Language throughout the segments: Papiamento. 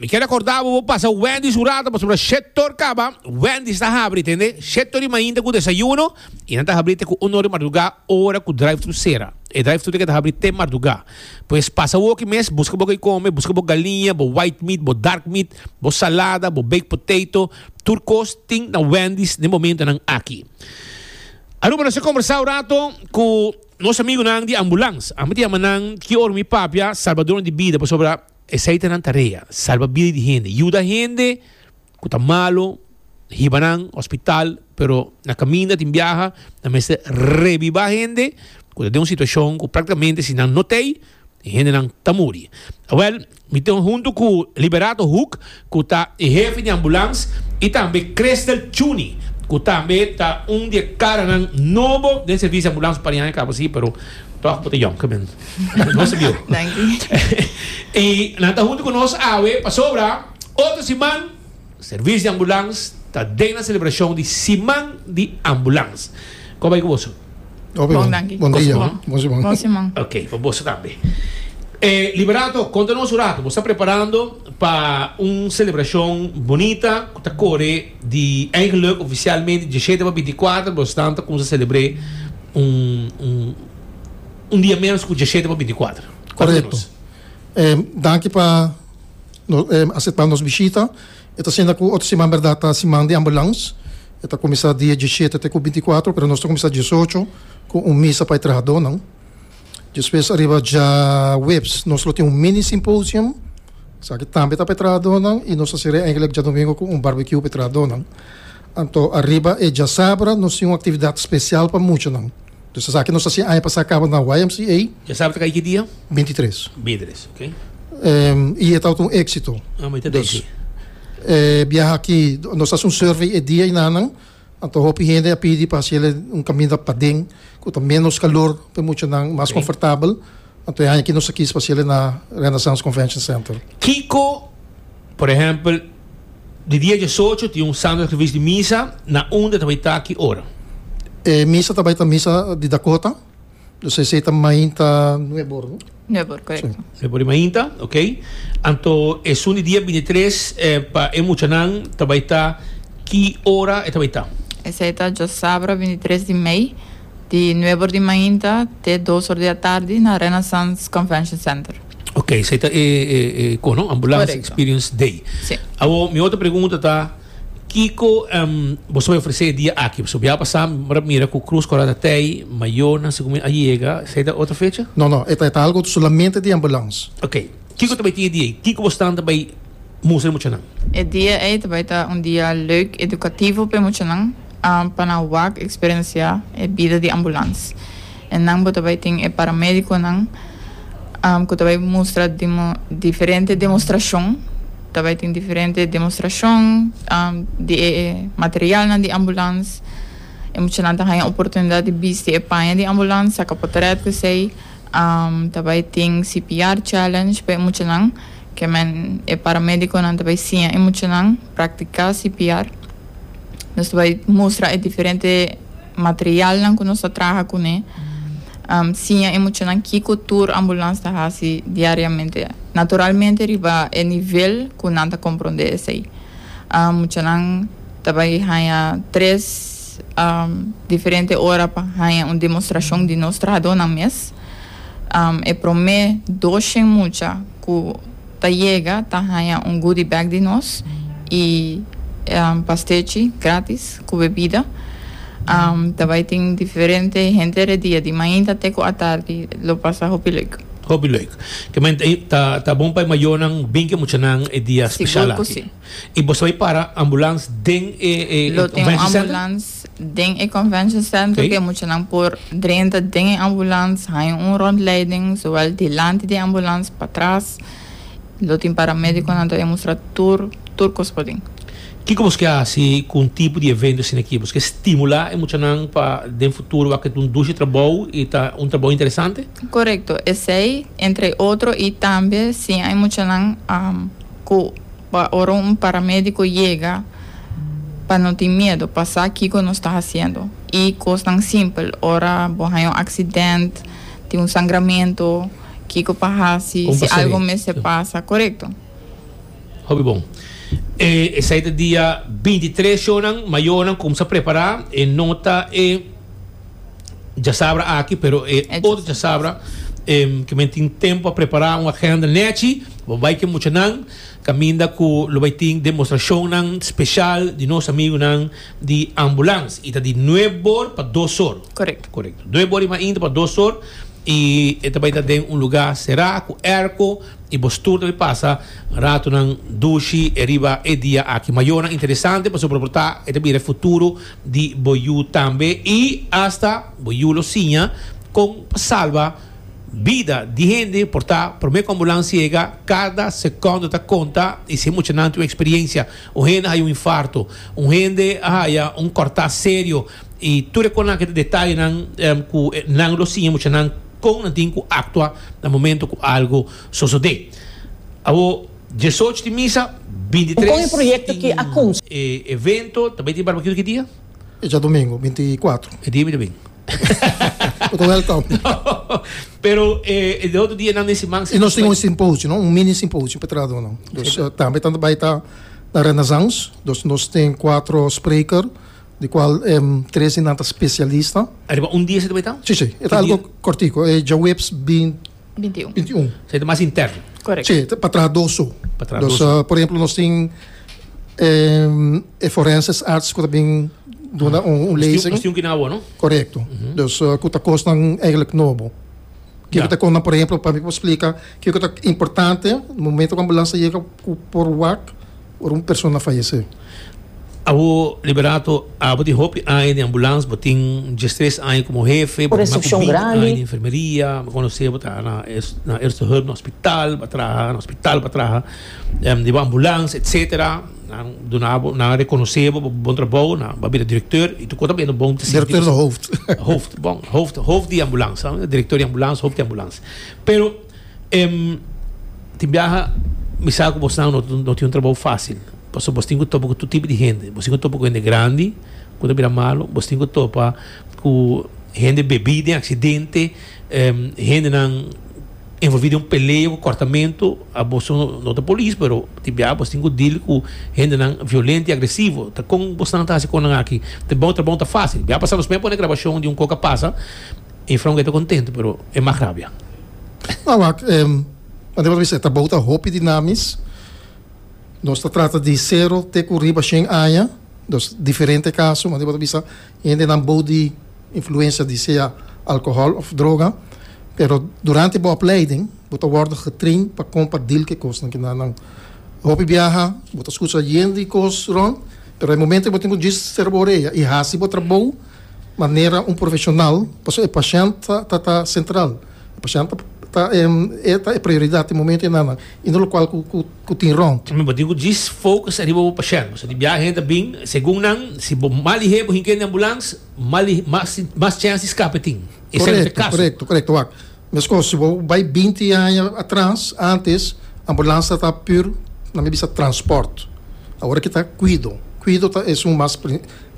Mi kier acorda bo bo pasa Wendy's un rato pasobra sector caba Wendy's ta habri tende sector di mainta cu desayuno y nan ta habri te cu un or di marduga ora cu drive thru cera e drive thru te ta habri te marduga pues pasa woki mes busca bo ki come busca bo galiña bo white meat bo dark meat bo salada bo baked potato tur cos tin na Wendy's den momento nan aki. Aruba nos a conversa un rato cu nos amigonan di ambulance a miti a yama nan ki or mi papia salbador di bida pasobra. Esei ta nan tarea, salba bida di hende, yuda hende ku ta malu, hiba nan hospital, pero na kaminda tin biaha nan mester rebiba hende ku ta den un situashon ku praktikamente si nan no t'ei e hendenan ta muri. Awel, mi tin huntu ku Liberato Hoek, cu ta e hefe di ambulans, y tambe Christel Chuni, cu tambe ta un di e caranan nobo den servicio di ambulans parian e cabo si, pero toch bo ta yonke men. Nos ta bi'o. Y nan ta hunto cu nos awe, pasobra otro siman servicio di ambulans ta den nan celebracion di siman di ambulans. Con bay cu boso? Hopi bon. Bon dia. Bon siman. Bon siman. Ok, pa boso tambe. Liberato, conta nos un rato, bo sta preparando? pa un celebracion bonita cu ta core di eigenluk oficialmente di diecisiete pa binticuater pero esnan ta cuminsa celebre un un un dia menos cu diecisiete pa binticuater. Correcto. Danki pa acepta nos bishita. E ta siña cu otro siman berdad ta siman di ambulance. E ta cuminsa dia diecisiete te cu binticuater pero nos ta cuminsa diesocho cu un misa pa e trahadornan. Despues ariba djaweps nos lo tin un mini symposium, esaki tambe ta pa e trahadónan i nos a ser'é eintlek djadumingo ku un barbecue pa e trahadónan. Anto ariba e djasabra nos tin un aktividat spesial pa muchanan. Dus esaki nos a hasi e aña pasá kaba na YMCA. Djasabra ta kai ki dia? Bintitres. Bintitres, ok. I e tabata un éksito. Amo e ta deki. E biaha aki nos a hasi un survey e dia ei nanan. Anto hopi hende a pidi pa hasiel un kaminda paden ku ta ménos kalor pa e muchanan mas konfortabel. Anto e aña aki nos a kis pa hasiel na Renaissance Convention Center. Kiko, por ehèmpel, di dia diesocho tin un Santo Servicio di Misa, na unda ta bai ta ki ora? E misa ta bai ta Misa di Dakota. Dus esei ta mainta nuebor, no? Nuebor, correcto. Sí. Nuebor y mainta, ok. Anto esun di dia bintitres eh, pa e muchanan ta bai ta ki ora e ta bai ta? Esei ta djos sabra bintitres di mei, di nuebor di mainta te dos or di atardi na Renaissance Convention Center. Ok, esei ta e, e, e, con no? Ambulance Correcto. Experience Day. Sí. Awor mi otro pregunta ta. Kiko bo sa bai ofresé e dia aki? Pasobra ya pasá mira mi ku krus ku a rota tei, mayonan segun mi a yega. Esei ta otro fecha? No, no. E ta algu solamente di ambulans. Ok. Kiko ta bai tin e dia ei? Kiko bo stan ta bai mustra e muchanan? E dia ei ta bai ta un dia leuk edukativo pa e muchanan. pa nan wak eksperensiá e bida di ambulans. E nan bo ta bai tin e paramédikonan ku ta bai mustra diferente demostrashon, ta bai tin diferente demostrashon di e materialnan di ambulans. E muchanan ta haña oportunidat di bisti e paña di ambulans, saka potrèt ku esei. Ta bai tin CPR challenge pa e muchanan, ke men e paramédikonan ta bai siña e muchanan. Practica CPR. Nos ta bai mustra e diferente materialnan cu nos ta traha cu ne. Siña e muchanan kico tur ambulance ta haci diariamente. Naturalmente riba e nivel cu nan ta compronde esey. Muchanan ta bai haya tres diferente ora pa haya un demostracion di nos trahadornan mes. E prome doshen mucha cu. Ta yega ta haña un goodie bag di nos y pastechi gratis cu bebida. Ta bay tin diferente henter e dia di mainta te cu atardi lo pasa hopi leuk. Hopi leuk. Kema ta bon pa e mayonan bin ke muchanan e dia special aki. Sigur cu si. Y boso bay para ambulance den e convention center? Lo tin un ambulance den e convention center cu e muchanan por drenta den e ambulance, haña un rondleiding zowel dilanti di e ambulance patras. Lo tin paramediconan ta e mustra tur tur cos paden. Kico bos ke haci cu un tipo di evento asina aki? Bos ke stimula e muchanan pa den futuro wak e ta un dushi trabou y ta un trabou interesante? Corecto, esey entre otro y tambe siña e muchanan cu. Pa ora un paramédiko yega, pa no tin miedu, pa sa kiko nos ta hasiendo. I kosnan simpel, ora bo haña un aksident, tin un sangramentu, kiko pa hasi Kon si pasaria? algu mester pasa. Korekto? Hopi bon. E esei ta dia bintitres, shownan, ma yonan kumsa prepará e nota, e. djasabra aki pero e otro djasabra ke men tin tempo pa prepara un agenda nechi bo bai ke muchanan kaminda ku lo bai tin demostrashonnan speshal di nos amigunan di Ambulans i ta di nueb bor pa dos or korekto nueb bor i mas inter pa dos or i e ta bai ta den un lugá será ku airco i bo stur ta bai pasa ratonan dushi e riba e dia aki mayornan interesante pasobra por ta e ta bira e futuro di bo yu tambe i asta bo yu lo siña kon pa salba bida di hende por ta promé ku ambulansia yega kada sekondo ta konta i si mucha nan tin un eksperiencia un hende a haya un infarto un hende a haya un korta serio i tur e konanan ke ta detayenan ku nan lo siña mucha nan kon nan tin ku aktua na momento ku algu sosodé awor. Diesocho di misa, bintitres tin e evento, tambe tin barbecue ki dia? E djadomingo, binti kuatro. E dia mi ta bin. Bo ta wèlkòm. Pero e e otro dia nan den siman si. I nos tin un simposio, no? Un mini simposio pa trahadó nan. Dus tambe ta bai ta na Renaissance. Dus nos tin kuatro spreker, di kual tres di nan ta spesialista. Ariba un dia si ta bai ta? Si, si. E ta algu kòrtiku. E djaweps binti. 21. 21. Sa e ta mas interno. Correct. Che, ta pa traha dos so. Pa traha dos so. por ejemplo, nos tin em, e forenses arts ku ta bin duna un, un Nos tin- lezing. Nos tin un kinan awor, no? Correcto. Dus eh, ku ta kosnan eigenlijk nobo. Ke Ja. ku ta kon nan, por ejemplo, pa mi por splika, ke ku ta importante, momento ku ambulans ta yega ku por wak, Ora un persona fayesé. A bo Liberato, a bo tin hopi aña den ambulans, bo tin diestres aña komo hefe, bo tin mas ku binti aña den enfermeria, mi konosé bo ta na na Eerste Hulp na hospital, bo a traha na hospital, bo a traha di bo ambulans etsetera, nan duna bo nan a rekonosé bo pa bo bon trabou, nan bo a bira direkteur, i tukua ta bira bon ta sinti bo hooft, bon hooft, hooft di ambulans, direkteur di ambulans, hooft di ambulans, pero. Em, tin biaha mi sa ku bosnan no, no tin un trabou fásil, pasobra bos tin ku topa ku tur tipo di hende. Bos tin ku topa ku hende grandi ku ta bira malu, bos tin ku topa ku hende bebí den aksidente, em, hendenan envolví den un pelea ku kòrtamentu. Boso no ta polis, pero tin biaha bos tin ku dil ku hendenan violento i agresivo. Ta kon bosnan ta hasi kon nan aki? Te bon, e trabou no ta fásil. Biaha pasá nos mei a pone grabashon di un koka pasa. E fronga ta contento pero e mag rabia. Nan wak em Ante por bisa e ta bouta hopi di namis. Nos ta trata di sero te cu riba shen aña. Dus diferente caso ma ante por bisa hendenan bout di influencia di sea alcohol of droga. Pero durante bo opleiding bo ta wordo getrain pa con pa deal cu e cosnan cu na nan. Hopi biaha bo ta scucha yendo y cos rond pero e momento cu bo tin cu djis cerbo orea y haci bo trabou. Manera un profesional, pasobra e pashènt ta ta sentral. E pashènt ta e ta e prioridat di momento e nannan y no lokual ku tin rònt. Bo tin ku djis focus ariba bo pashènt, pasobra di biaha hende ta bin, segun nan, si bo mal i hei bo hinkende ambulans, mal i mas chèns di skape tin. Esei no ta e kaso. Korekto, korekto, korekto. Wak. Mescos si bo bai binti aña atras, antes ambulansa ta pur nan mi bisa transport. Awor aki ta cuido. Cuido ta es un mas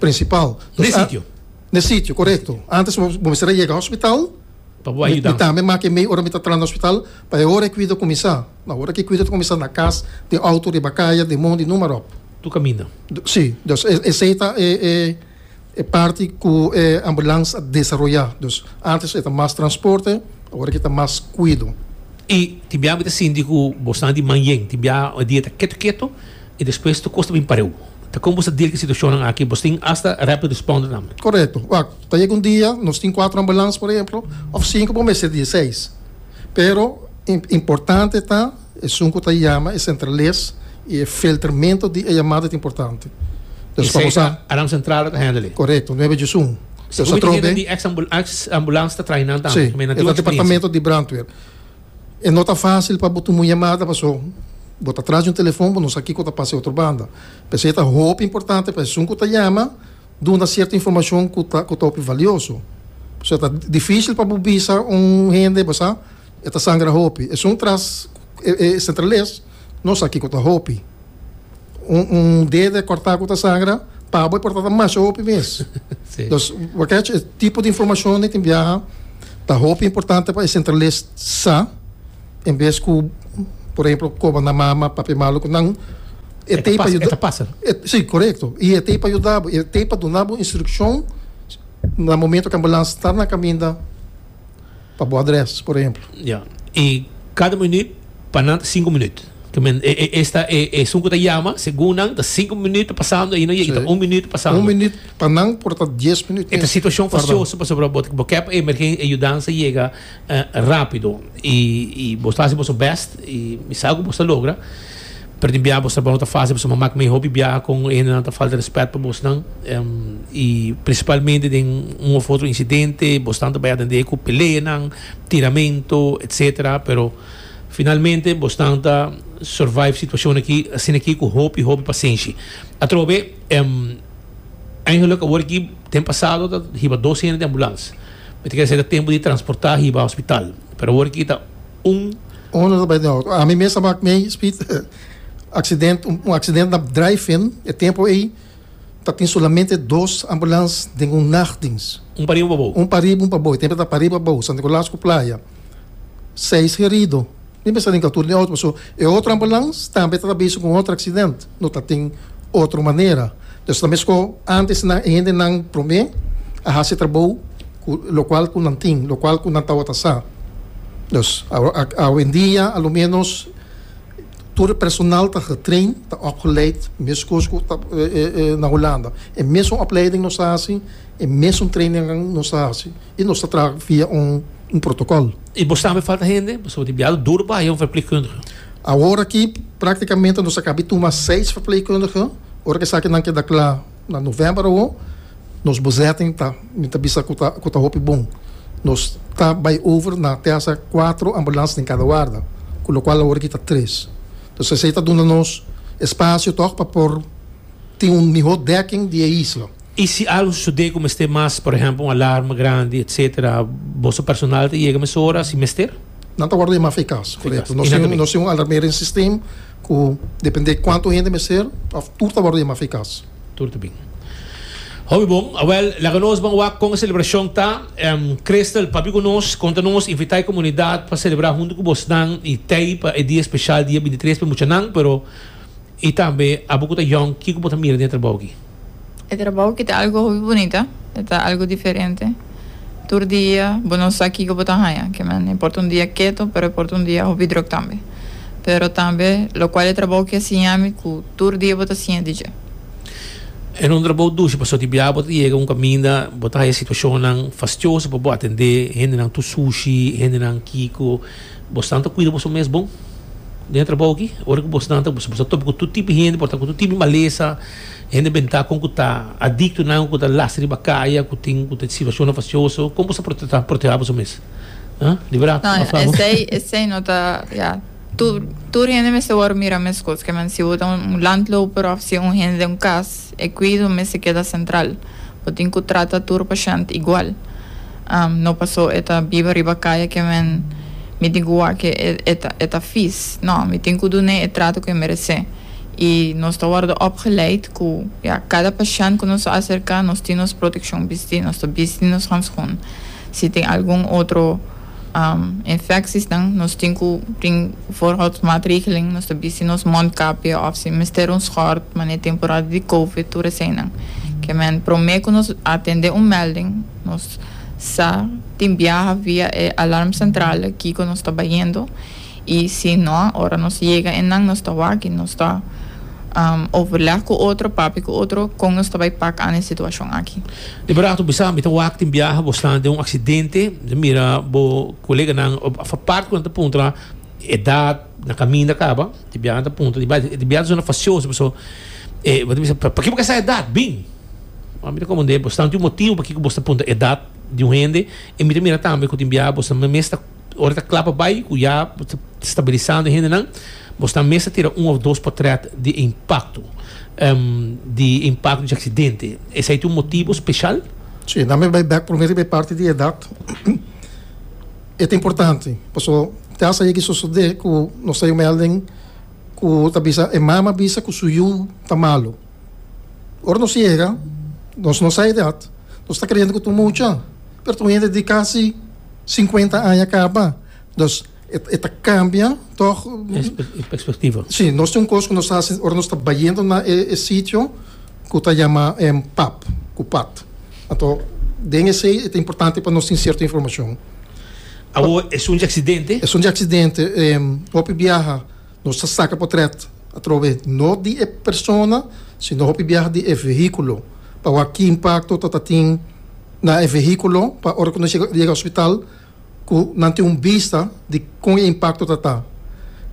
principal. N'e sitio. N'e sitio, correcto. Antes bo mester a yega hospital, mi tambe maki e mei ora mi ta tras na hospital, pa e ora e cuido cuminsa. No, awor aki e cuido ta cuminsa na cas, den auto, riba caya, den mondi, numa rop. Tur caminda. Si, esey ta e. E parti ku e ambulans a desaroyá. Dus ántes e ta mas transporte, awor aki ta mas kuido. I tin bia mi ta sinti ku bo san di manjen, tin bia e dia ta ketu ketu i despues tur kos ta bin pareu. Ta kon bo sa dil ku e situashonnan aki? Bo tin asta rapid responder tambe? Korekto. Wak, ta yega un dia nos tin kuater ambulans, por ehemplo, òf sinku, bo mester di e seis. Pero, importante ta. Esun ku ta yama e sentrales i e filtermento di e yamada ta importante. Pues pa bo sa. Esei ta Aram Central lo ta hendel ei. Korekto, nuebe di esun. Pues a trobe. Sekumi ta di ex ambulans ta traainan tambe. Si, e ta departamento di brandweer. E no ta fasil pa bo tuma un yamada paso bo ta tras di un telefon bo no sa kiko ta pasa e otro banda. P'esei ta hopi importante pa esun ku ta yama duna sierto informashon ku ta hopi valioso. Pasobra ta difisil pa bo bisa un hende bo sa. E ta sangra hopi. Esun tras e centrales no sa kico ta hopi. Un un dede corta cu ta sangra pabo e por ta ta masha hopi mes. Sí. Dus we catch e tipo di informacion den tin biaha ta hopi importante pa e centrales sa en bes cu por ehemplo coba na mama, papia malo cu nan e E ta tey pa pasa, e yuda ta pasa. e si correcto y e tey pa yuda bo y e tey pa duna bo instruccion na momento cu ambulance ta na caminda. pa bo adres, por ehemplo. Ya. I kada minuut pa nan ta sinku minuut. Ke men, e, e, esta, e, esun ku ta yama, segun nan, ta sinku minuut ta pasando ahi, no yega, i ta un minuut pasando. Un minuut pa nan por ta dies minuut mes. E ta situashon fosioso, pasobra bo, bo ta kep e emergen, e yudansa yega, eh, rápido. I, i bo ta hasi boso bèst, i mi sa ku bo ta logra. Perdi biaha boso tabao ta fácil, boso mama cu mi hopi biaha con hendenan ta falta respet pa bosnan y principalmente den un of otro incidente, bosnan ta bay atende cu peleanan, tiramento, etcetera, pero finalmente bosnan ta survive situacionnan aki asina aki cu hopi hopi pasenshi. Atrobe eigenlijk awor aki den pasado ta hiba dos hende den ambulans, mi ta kere sey ta tempo di transporta hiba hospital, pero awor aki ta Un honorable by the house. Ami mes a mak mei speed accident, un accident na drive-in, e tempo ei ta tin solamente dos ambulans den un nachtdienst. Un pa riba un pa bou. Un pa riba un pa bou, e tempo ta pa riba bou, Santa Nicolaas ku Playa. Seis herido. Mi mes a ringa tur di auto pasobra e otro ambulans tambe ta ta bezig ku un otro accident. No ta tin otro manera. Pues ta mesco antes nan e hendenan prome a haci trabou cu locual cu nan tin, locual cu nan tawata sa. Pues awendia a lo menos tur e personal ta getrain, ta opgeleid mescos cu ta na Hulanda. E mesun opleiding nos ta haci, e mesun trainingan nos ta haci y nos ta traha via un. un protocol. Y bo sabe falta hende? Bo sabati biado duro pa haya un verpleegkundige? Awor aki practicamente nos a caba di tuma seis verpleegkundige. Ora cu esaki nan keda cla na november awor, nos bezetting ta, mi ta bisa cu ta, cu ta hopi bon. Nos ta bay over na te hasa cuatro ambulance den cada warda, cu locual awor aki ta tres. Entonces esey ta duna nos espacio toch pa por tin un miho dekking di e isla. Y si algo sucede cu mester mas, por ehempel un alarma grandi etc. Boso personal ta yega mesora si mester? Nan ta wordo yama fe cas, correcto. Nos tin, nos tin un alarmering system cu depende cuanto hende mester of tur ta wordo yama fe cas. Tur ta bin. Hopi bon. Awel, laga nos ban wak con e celebracion ta. Crystal, papia cu nos, conta nos, invita e comunidad pa celebra hunto cu bosnan y tey pa e dia especial dia bintitres pa e muchanan, pero y tambe abo cu ta yong kico bo ta mira den e trabao aki? E trabou ki ta algu hopi bunita, e ta algu diferente. Tur dia bo no sa kiko bo ta haña, ke men e por ta un dia keto, pero e por ta un dia hopi drok tambe. Pero tambe lokual e trabou ki a siña mi ku tur dia bo ta siña di dje. E no un trabou dushi, pasobra di biaha bo ta yega un kaminda, bo ta haña situashonnan fastioso pa bo atendé hendenan tur sushi, hendenan kiko. Bosnan ta kuida boso mes bon den e trabou aki. Ora ku bosnan ta, bos ta topa ku tur tipo di hende, por ta ku tur tipo di malesa. Hende bentaco cu ta adicto nan cu ta lasta riba caya cu tin cu ta situacionnan facioso como bo sa ta proteha boso mes? Haa? Di verdad No, por favor. esey, esey no ta, ya, tur, tur hende mester wòrdu mira mescos, ke men si bo ta un landloper òf si un hende den un kas, e kuido mester keda sentral, bo tin ku trata tur pashènt igual, am, no paso e ta biba riba kaya ke men mi tin ku wak ke e, e ta, e ta fis, no, mi tin ku dun'é e trato ku e meresé. y nos ta wordo opgeleid cu ya cada pashent cu nos ta acerca nos tin nos proteccion bisti, nos ta bisti nos handschoen, si tin algun otro infecciesnan nos tin cu tin voorhoudsmaatregelen, nos ta bisti nos mondkapje of si mester un schort mane temporada di covid tur eseinan ke men prome cu nos atende un melding nos sa tin biaha via e alarmcentrale kico nos ta bayendo. I si no, ora nos yega einan nos ta wak i nos ta overleg ku otro, papia ku otro kon nos ta bai pak an e situashon aki. Liberato bisa, Mi ta wak tin biaha bo slaan den un aksidente, mi mira bo koleganan a part kunan ta puntra edat na kaminda kaba, e biahanan ta puntra di bai e biaha ta zona fasioso paso e bo ta bisa paki bo ka sa edat bin? Ora mi ta komprende bo slaan tin un motibu pakiko bo ta puntra edat di un hende i mi ta mira tambe ku tin biaha bo mes ta Ora ta cla pa bay cu ya bo ta stabilisando e hendenan, bo sna mes ta tira un of dos portret di e impacto di e impacto di accidente. Esey ta un motibo special? Si, dame bay bek prome riba e parti di edad. E ta importante pasobra te a sabi ki sosode cu nos ta yomen alden cu ta bisa e mama bisa cu su yu ta malo. Ora nos yega, nos no sa edat, nos ta kreyendo ku ta un mucha, pero ta un hende di kasi sinkuenta aña kaba. Dus e ta kambia tòg, Perspektivo. si, nos tin un kos ku nos ta hasi ora nos ta bayendo na e sitio ku ta yama pap, ku pat. Anto den esei e ta importante pa nos tin sierto informashon. Awo esun di aksidente? Esun di aksidente, hopi biaha. Nos ta saca potret atrobe no di e persona sino hopi biaha di e vehiculo pa wak ki impacto ta ta tin na e vehiculo pa ora cu nos yega yega hospital cu nan tin un bista di con e impacto ta ta.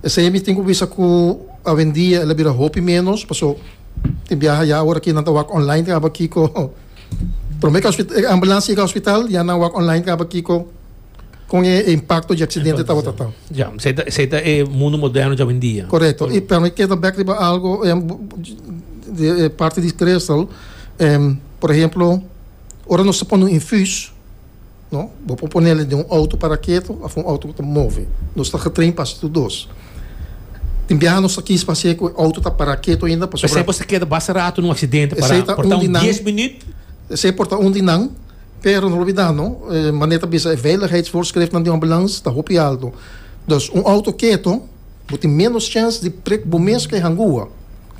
Esey mi tin cu bisa cu awendia el a bira hopi menos paso tin biaha ya awo aki nan ta wak online tin aba kico prome cu e ambulancia yega hospital ya nan wak online tin aba kico. con e impacto di accidente tabata ta. Ja, zij ta, zij ta e mundo moderno ja hoy día. Correcto. Y permi queda back riba algo em, de eh, parte di Crystal, em, por ejemplo, ora nos ta pone un infus, no? Bo por ponele de un auto para keto of un auto ta move. Nos ta getrain pa hasi tu dos. Tin biaha nos ta kis pa hasi cu auto ta para keto ainda Pe pasobra esempio, se queda basta rato en un accidente Esey para, ta por un ta di un nan. 10 minuut. esey por ta un di nan Pero no olbida no, e mane ta bisa e veiligheidsvoorschriften den ambulans ta hopi alto. Dus un auto keto bo tin menos chèns di prik bo mes ku e hangua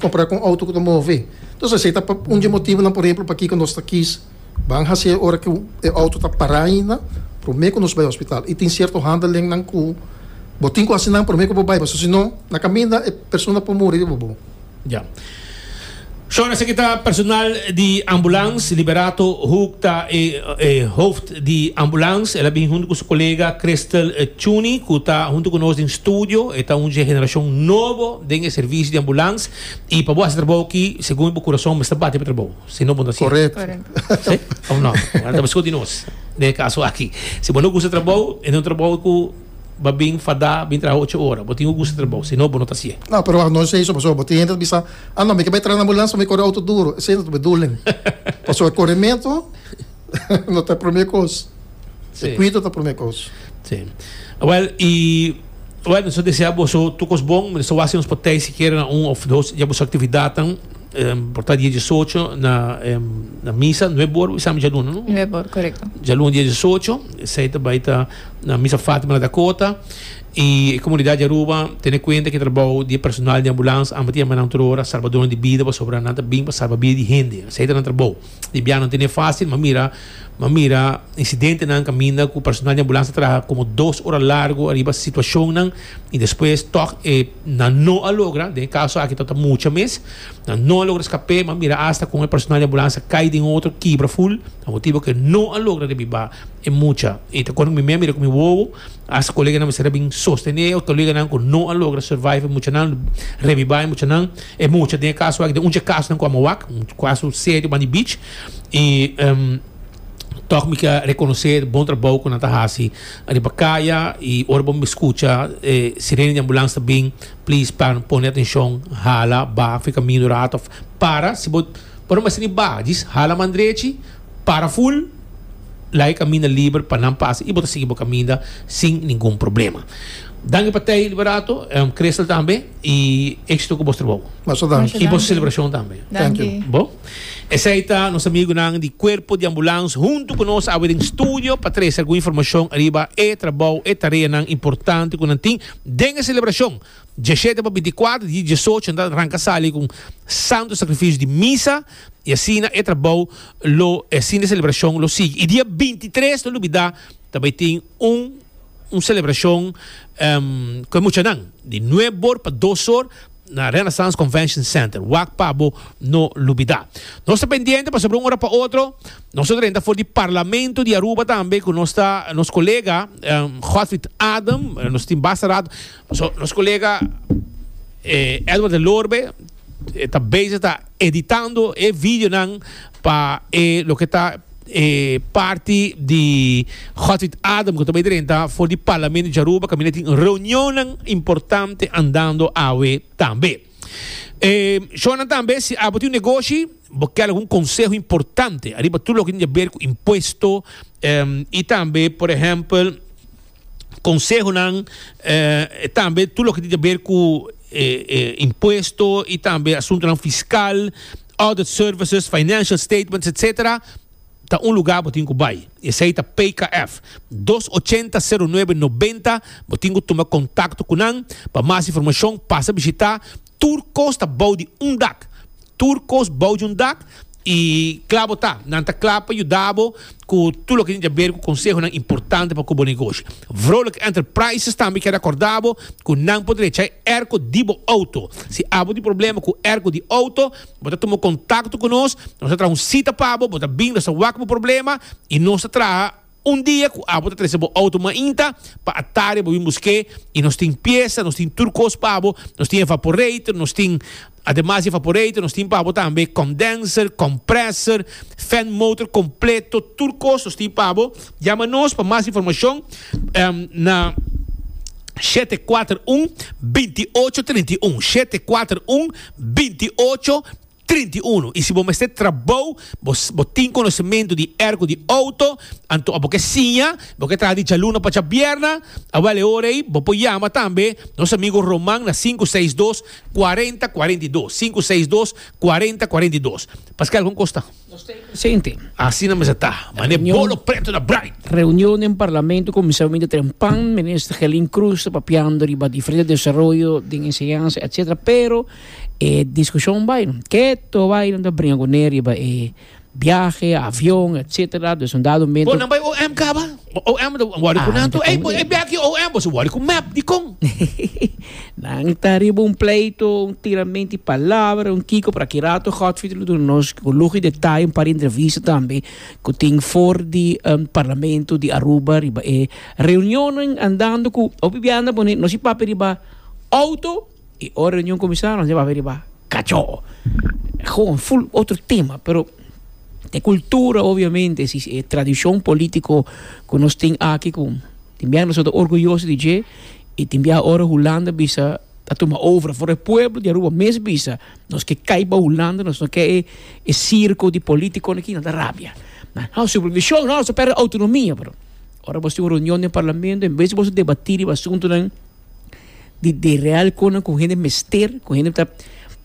kompará ku un auto ku ta move. Dus esei ta un di e motibunan por ehempel pakiko nos ta kis ban hasi ora ku e auto ta pará ainda promé ku nos bai hospital. I tin sierto handelingnan ku bo tin ku hasi nan promé ku bo bai pasobra si no na kaminda e persona por muri riba bo. Ya. Shor, esaki ta personal di ambulans. Liberato Hoek ta e e hoofd di ambulans. El a bin huntu ku su kolega Christel Tjuni ku ta huntu ku nos den studio. E ta un dje generashon nobo den e servisio di ambulans. I pa bo hasi trabou aki, segun bo kurason mester bati pa trabou. Si no bo no ta hasié. Correct. Correct. Si? Of no? Bo ta discuti nos den e caso aki. Si bo no gusta trabou, e no un trabou ku. ba bin fadá bin traha ocho ora. Bo tin ku gusta trabou, si no bo no ta hasié. No, pero wak, no esei so pasobra bo tin hende ta bisa, Ah no, mi ke bai traha na ambulans pa mi kore outo duru. Esei no ta beduling. Pasobra korementu no ta e promé kos. E kuido ta promé kos. Sí. Wèl, i wèn so desea boso tur kos bon. Mi ta staba wak si nos por tei sikiera na un òf dos dja boso aktividatnan. Por ta dia diesocho na na misa. Nueb ora bo bisa mi djaluna, no? Nueb ora, korekto. Djaluna dia diesocho. Esei ta bai ta. Na Misa Fatima na Dakota i e komunidat di Aruba tene kuenta ku e trabou di e personal di ambulans amba ta yama nan tur ora salbadónan di bida pasobra nan ta bin pa salba bida di hende. Esei ta nan trabou. Di biaha no tene fásil m'a mira m'a mira insidentenan kaminda ku personal di ambulans ta traha komo dos ora largu ariba situashonnan i despues tòg e nan no a logra. Den e kaso aki tabata mucha mes. Nan no a logra escapé, ma mira hasta con e personal di ambulancia cay den otro kibra full, pa motibo cu e no a logra rebiba e mucha. Y ta cuando mi mea mira cu mi wowo, hasta coleganan mester a bin sostené e coleganan cu no a logra survive e muchanan, rebiba e muchanan. E mucha den e caso aki, den un dje casonan cu a mawak, un caso serio banda di beach. Y toch mi cia reconoce e bon trabao cu nan ta haci riba caya y ora bo mi scucha e sirene di ambulancia ta bin, Please pan pone atencion hala ba fica mino rato of para si bo bo no mester ni ba djis hala man drechi para full laga e caminda liber pa nan pasa y bo ta sigui bo caminda sin ningun problema danki pa tei liberato Crystal tambe y exito cu bos trabou Masha danki. y bos celebracion tambe. Thank you. Bo. Esey ta nos amigunan di Cuerpo di Ambulance hunto cu nos awe den studio pa trece algun informacion ariba e trabou e tareanan importante cu nan tin Den e selebrashon, djashete pa bintiakuater di diesocho nan ta ranka sali ku un santu sakrifisio di misa i asina e trabou lo e asin di selebrashon lo sigui. I dia bintitres no lubidá ta bai tin un un selebrashon ku e muchanan di nueb or pa dos or. na Renaissance Convention Center, wak pa bo no lubida. Nos ta pendiente pasobra un ora pa otro nos a drenta for di Parlamento di Aruba tambe cu nos ta nos colega Godfried Adam, nos tin basta rato, paso nos colega Edward Delorbe ta bezig ta. editando e videonan pa e loke ta e parti di Hot with Adam ku ta bai drenta for di Parlamento di Aruba kaminda tin reunionnan importante andando awe tambe. E shownan tambe si abo tin un negoshi bo kel algun konseho importante ariba tur loke tin di aber ku impuesto i tambe por ehempel consehonan tambe tur loke tin ta ber cu impuesto y tambe asuntonan fiscal, audit services, financial statements etcetera ta un lugar bo tin cu bay y esey ta PKF dos ochenta sero nuebe noventa bo tin cu tuma contacto cu nan pa mas informacion pasa bishita tur cos ta bou di un dak. Tur kos bou di un dak i kla bo ta. Nan ta kla pa yuda bo ku tur loke tin aver ku konsehonan importante pa ku bo negoshi. Vrolijk Enterprises tambe kere akorda bo ku nan por drecha e airco di bo outo. Si abo tin problema ku airco di outo, bo ta tuma kontakto ku nos, nos ta traha un sita pa bo, bo ta bin, nos ta wak bo problema i nos ta traha Un dia ku abo ta trese bo outo mainta pa atari bo bin busk'é i nos tin piesa, nos tin tur kos pa bo, nos tin evaporator, nos tin Ademas di evaporator nos tin pa bo tambe condenser, komprèser, fèn motor kompleto, tur kos nos tin pa bo. Yama nos pa mas informashon na shete kuater un binti ocho trinta i un, shete kuater un binti ocho. Trinta i unu i si bo mester trabou bo bo tin konosementu di erko di outo anto bo ke siña bo ke traha di djaluna pa djabierna awèl e ora ei bo por yama tambe nos amigo Roman na sinku seis dos kuarenta kuarenta i dos sinku seis dos kuarenta kuarenta i dos paskal kon kos ta Nos ta e presente. Asina mester ta mane bolo preto na braai. Reunion den Parlamento kuminsá winter trempan Minister Gelin Cruz ta papiando riba diferente desaroyo den enseñansa etc pero E discusion bay no ke to bay nan ta bringa cu ne riba e biahe, avion, etc. Dus un dado momento. Bo nan bay OM caba? OM ta worry cu nan to. Ey bo e bia aki OM bo su worry cu map dicon? Nan ta riba un pleito, un tiramenti palabra, un kico por aki rato Godfrey lo duna nos cu lujo y detaye un par di entrevista tambe cu tin for di Parlamento di Aruba riba e reunionan andando cu hopi bia anda pone nos e papia riba auto. Y ora reunion cuminsa nos llevaba riba cachó. Gewoon full otro tema, pero e cultura obviamente, si e tradicion politico cu nos tin aki cu tin bia nos ta orgulloso di dje y tin bia ora Hulanda bisa ta tuma over for e pueblo di Aruba mes bisa nos ke kai pa Hulanda, nos no ke e circo di politiconan aki, nan ta rabia. Na nos supervision nos a perde autonomia, pero ora bo tin un reunion den Parlamento en bes di boso debati riba asuntonan. di di real konan ku hende mester, ku hende ta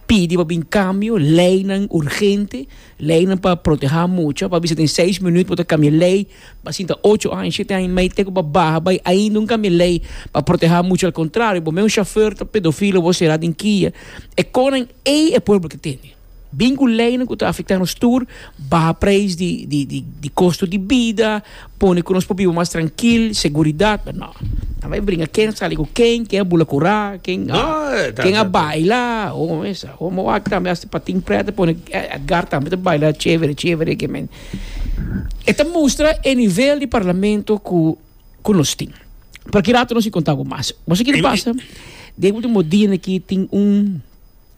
pidi pa bin kambio, leinan urgente, leinan pa protehá mucha, pa bisa den seis minüt bo ta kambia lei, bo a sinta ocho aña, shete aña mei te ku bo a baha bai ainda un kambia lei pa protehá mucha, al kontrario bo mes un shofèr ta pedofilo bo a será den kia. E konan ei e pueblo ta tende. Bin ku leinan ku ta afektá nos tur, baha preis di di di di kosto di bida, pone ku nos por biba mas trankil, seguridat, pero no. Nan bai bringa ken a sali ku ken, ken a bula kurá, ken a ken a baila, o mesa homo wak tambe hasta pa tin prèt a pone, Edgar tambe ta baila chévere chévere ken men. E ta mustra e nivel di parlamento ku ku nos tin. Por aki rato nos a kontá ku mas. Boso kiri pasa? Den último dianan aki tin un.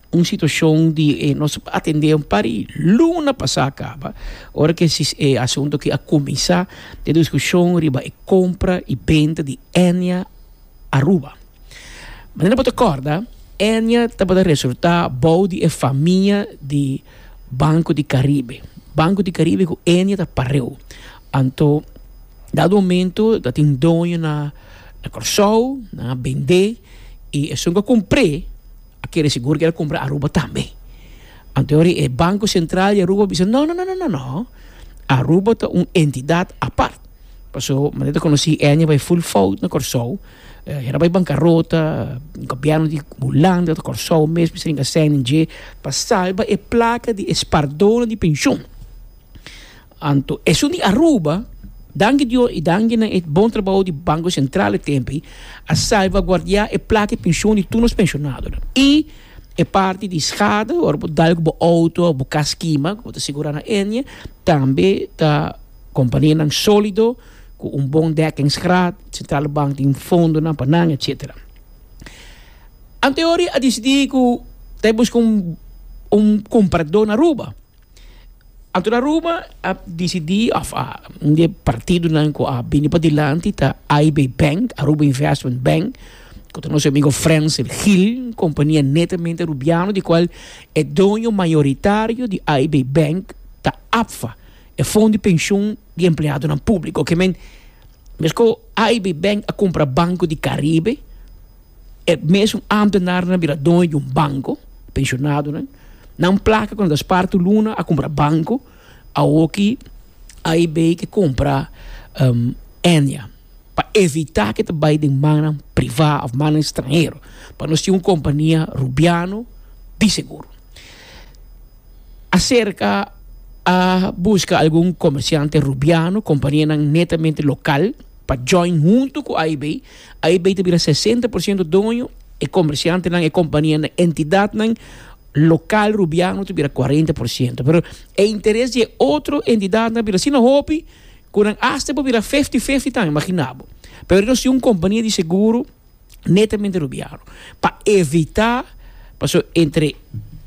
Un situacion di e nos atende un par di luna pasa caba, ora cu e asunto aki a cuminsa den discusion riba e compra y benta di Enia Aruba. Manera no bo ta corda, Enia tabata resorta bou di e famia di Banco di Caribe. Banco di Caribe cu Enia ta pareu. Anto dado momento ta tin doño na Corsou, nan a bende y esun cu a cumpre. a kere sigur ku el a kumpra Aruba tambe. Anto yori e Banko Sentral di Aruba a bisa, No, no, no, no, no. Aruba ta un entidat apart. Paso, manera ku nos si Eni a bai ful fout na Kòrsou, hera bai bankarota, gobièrnu di Hulanda, ta Kòrsou mes mester inga sèn den dje pa salba e plaka di e spardónan di penshon. Anto esun di Aruba, danki Dios y danki nan e bon trabao di Banco Central e tempi, a salvaguardia e plata y pension di tur nos pensionadonan y e parti di schade ora bo dal cu bo auto of bo cas kima cu bo ta segura na Eni tambe ta companianan solido cu un bon dekkingsgraad, Centrale Bank tin fondonan pa nan, etcetera. Anto e ora a dicidi cu ta e busca un comprador na Aruba. Anto Aruba a disidí òf a un di e partidonan ku a bini pa dilanti ta AB Bank, Aruba Investment Bank, ku ta nos amigo Frenser Gil, un kompania netamente arubiano di kual e doño mayoritario di AB Bank ta APFA, e fondo di penshun di empleadonan públiko. Ke men, meskos AB Bank a kumpra Banko di Karibe, E mesun ámtenarnan a bira doño di un banko, penshonadonan. Nan plaka ku nan ta spar tur luna a kumpra banko, awoki AIB ke kumpra Ennia pa evitá ku e ta bai den mannan privá òf mannan ekstranhero, pa nos tin un kompania rubiano di seguro. Aserka a buska algun komersiante rubiano, kompanianan netamente lokal. pa join huntu ku AIB. AIB ta bira sesenta por siento doño, e kombersiantenan, e kompanianan, entidatnan lokal rubiano ta bira kuarenta por siento. Pero e interes di e otro entidatnan ta bira asina hopi ku nan asta por bira fifti fifti tambe, imaginabo. Pero nos tin un kompania di seguro. netamente rubiaro pa evita paso entre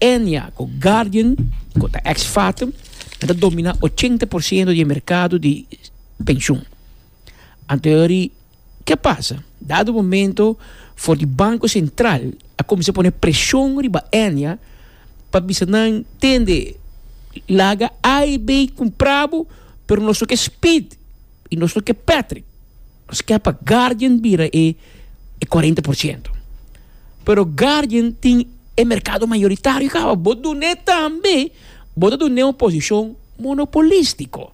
Enya cu Guardian cu ta ex Fathom nan ta domina ochenta por ciento di e mercado di pensioen anto yori ke pasa dado momento for di Banco Central a cuminsa pone presion riba Enya pa bisa nan tende laga A y B y cumpra bo pero nos no ke Speed y nos no ke Patrick. Nos ke pa Guardian bira e e cuarenta por ciento pero Guardian tin e mercado mayoritario caba bo dun'e tambe bo ta dun'e un posicion monopolistico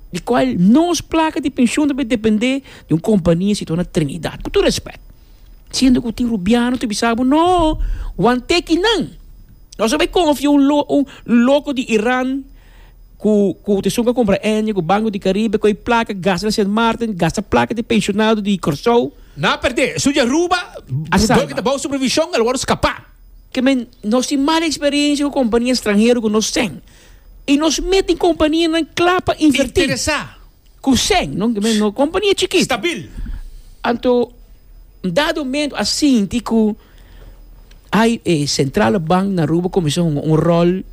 di cual nos placa di pension ta depende di un compania sitorna Trinidad cu tur respect siendo cu tin Rubiano ta bisa bo no wan teki nan nos a bay confia un loco di Iran. Ku kotisacion ku a kumpra e aña ku Banco di Caribe, koe placa gasta na Sint Maarten, gasta placa di pensionado di Corsou. Nan a perde, su di Aruba, dor ku ta bao supervision, el wòrdu skapa. Ke men, nos tin mal eksperensia ku kompania ekstranhero ku nos sen. I nos met tin kompanianan kla pa invertí. Interesá. Ku sèn, no no kompania chikit. Stabil. Anto un dado momento a sinti ku ai e sentrale bank na Aruba kuminsá hunga un ròl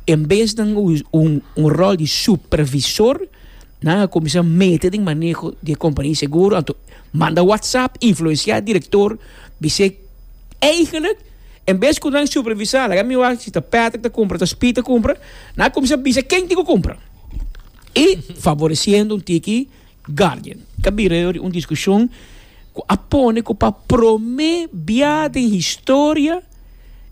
en bes nan un ròl di supervisor, nan a kuminsá mete den maneho di e kompania seguro, anto manda whatsapp, influensiá direktor, bis'é eigenlik en bes ku nan supervisá, laga mi wak si ta Patrick ta kumpra, ta Speed ta kumpra, nan a kuminsá bisa ken tin ku kumpra. I favoreciendo un tiki guardian ta bira yo di un discusion cu a pone cu pa prome bia den historia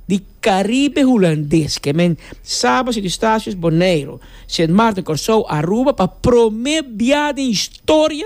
di Caribe Hulandes, que men Saba, Sint Eustatius, Boneiru, Sint Maarten, Corsou, Aruba, pa prome bia den historia.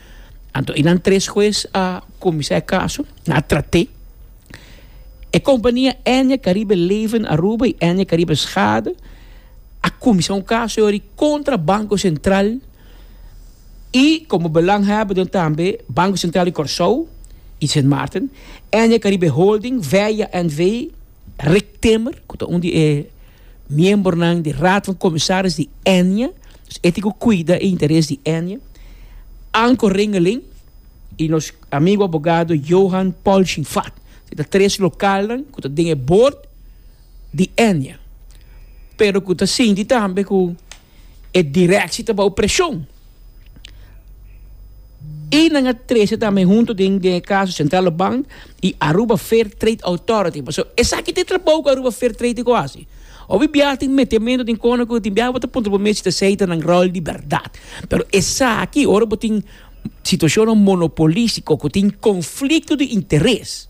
Anto e nan tres hues a kuminsá e kaso, nan a trat'é. E kompania Enya Karibe Leven Aruba i Enya Karibe Schade a kuminsá un kaso yori kontra Banko Sentral i komo belanghèber den tambe Banko Sentral di Kòrsou i Sint Maarten, Enya Karibe Holding, Veya NV. Rick Timmer, ku ta un di e miembernan di Raad van Commissaris di Ennia, e tin ku kuida e interes di Ennia, Anko Ringeling i nos amigu abogado Johan Polchinvath. E ta tres lokalnan ku ta den e bord di Ennia, pero ku ta sinti tambe ku. E directie ta bou presion. Y nan a trece tambe hunto den e caso Centrale Bank y Aruba Fair Trade Authority. Paso esaki ta e trabou cu Aruba Fair Trade Authority ta haci. Hopi biaha tin metemento den cono cu tin biaha bo ta puntra bo mes si esey ta nan rol di berdad. Pero esaki ora bo tin situacionnan monopolistico cu tin conflicto di interes,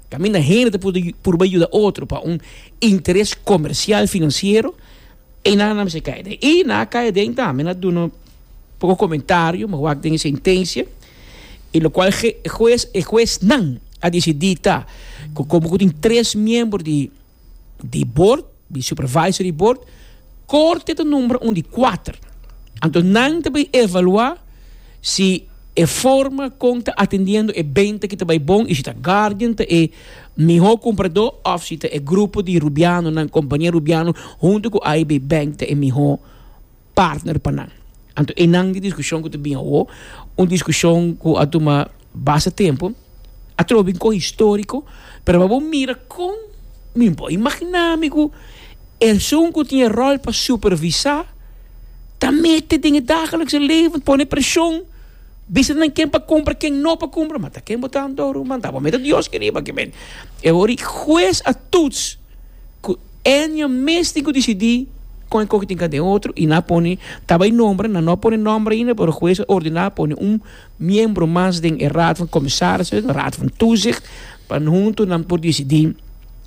caminda hende ta purba yuda otro pa un interes comercial financiero. E nan a mester kai aden. I na kai aden tambe na duna un poko komentario me wak den e sentensia i lokual e hues e huesnan a disidí ta ku komo ku tin tres miembro di di bord di supervisory bord korte ta numbra un di kuater anto nan ta bin evaluá. Si e forma kon ta atendiendo e benta aki ta bai bon y si ta Guardian ta e miho compradó of si ta e grupo di Rubianonan, Compania Rubiano hunto cu AIB Bank ta e miho partner pa nan. Anto enan di discusion cu ta bin awo, un discusion cu a tuma. Basta tempu, atrobe bin kohe historico, pero pa bo mira con mi por imagina mi cu esun cu tin e rol pa supervisa ta mete den e dagelikse leven, pone presion, bisa nan ken pa cumpra ken no pa cumpra, ma ta ken bo ta anto ruman, ta bo mete Dios ke riba ke mente. E wor di huez a tuts cu Enya mes tin cu dicidi con e coge tin ca den otro y nan a pone, ta bay nomber, nan no a pone nomber ainda pero huez a ordena pone un miembro mas den e Raad van Commissarissen, e Raad van Toezicht, pa huntu nan por disidí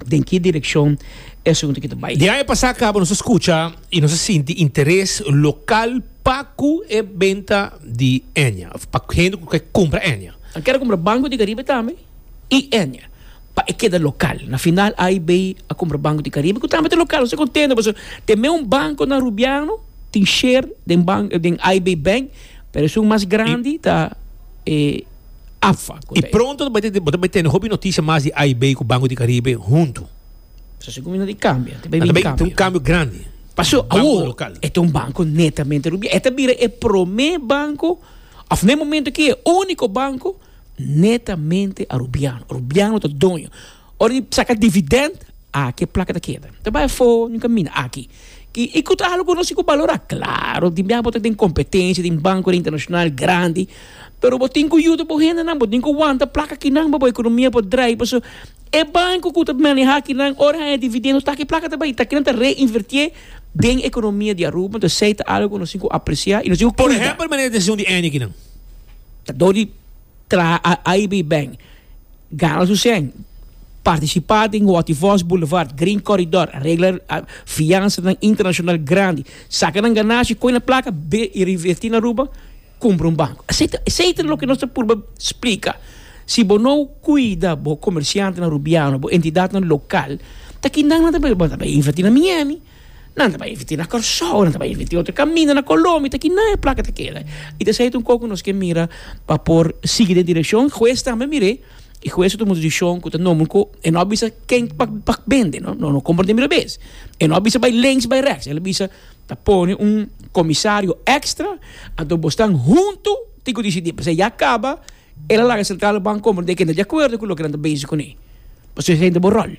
den ki direkshon e asuntunan ta bai. Di aña pasá kaba nos a skucha i nos a sinti interes lokal pa ku e benta di Eña, òf pa hende ku ke kumpra Eña. Nan kere kumpra Banco di Caribe tambe i Eña pa e keda lokal. Na final AIB a kumpra Banco di Caribe ku tambe ta lokal. Nos ta kontento pasobra te mei un banko na Rubiano tin sher den bank den AIB Bank. Pero esun mas grandi ta e AFA. I pronto bo ta bai tene hopi noticia mas di A i B ku Banko di Karibe huntu. So si kumina di kambio. Ta bai ta un kambio grandi. Paso awor e ta un banko netamente rubial. E ta bira e prome banko of na e momento aki e uniko banko netamente arubiano. Rubiano ta doño. Ora di saca dividend, aki e placa ta keda. Ta bay afo di un camina aki. Y cu ta halo cu nos tin cu balora? Claro, tin bia bo ta den competencia den banconan internacional grandi, pero bo tin cu yuda bo hendenan, bo tin cu wanta placa kinan pa bo economia por draai. Pasobra e banco cu ta maneha kinan, ora haña dividend, nos taki e placa ta bay. Taki nan ta reinvertié den economia di Aruba. Entonces esey ta algo cu nos tin cu apreciá y nos tin cu cuida. Por ehempel, manera di haci un di eni kinan. Ta dor di. Traha Aibee Beng, Gana su sèn, partisipa den Waterfalls Boulevard, Green Corridor, regla fiansanan internashonal grandi, saka nan ganashia, koi na plaka, be i reverti na Aruba, kumpra un banku. Esei ta loke nos ta purba splika. Si bo no kuida bo komersiantenan Rubiano, bo entidatnan lokal, ta kinan nan ta bai inverti na Miami? Nan ta bai invirti na Kòrsou, nan ta bai invirti otro kaminda na Kolombia, ta kina e plaka ta keda. I ta esei ta un kos ku nos ke mira pa por sigui den direkshon. Hues tambe mir'é i hues ta tuma desishon ku ta nobo ku e no a bisa ken pa pa bende, no, no kompra den mirabes. E no a bisa bai lings bai reks, el a bisa ta pone un komisario èkstra, anto bo stan huntu tin ku disidí, p'esei ya kaba El a laga Sentral Bank Company den kende di akuerdo ku loke nan ta bezi kuné. Pasobra esei ta bo ròl.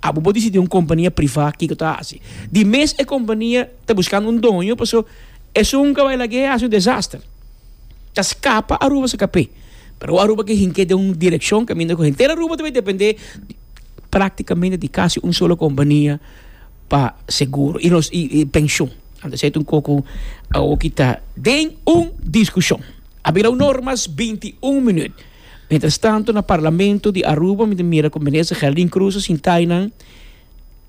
Abo bo disidí un kompania privá kiko ta hasi. Di mes e kompania ta buskando un doño paso esun ka bai lag'é hasi un desaster. Ta skapa Aruba su kapé. Pero Aruba ke hink'é den un direkshon kaminda ku henter Aruba ta bai dependé praktikamente di kasi un solo kompania pa seguro i los i penshon. Anto esei ta un koko awo ku ta den un diskushon. A bira un or mas binti un minüt. Mientras tanto na Parlamento di Aruba mi ta mira cu Minister Geraldine Cruz ta sinta aynan,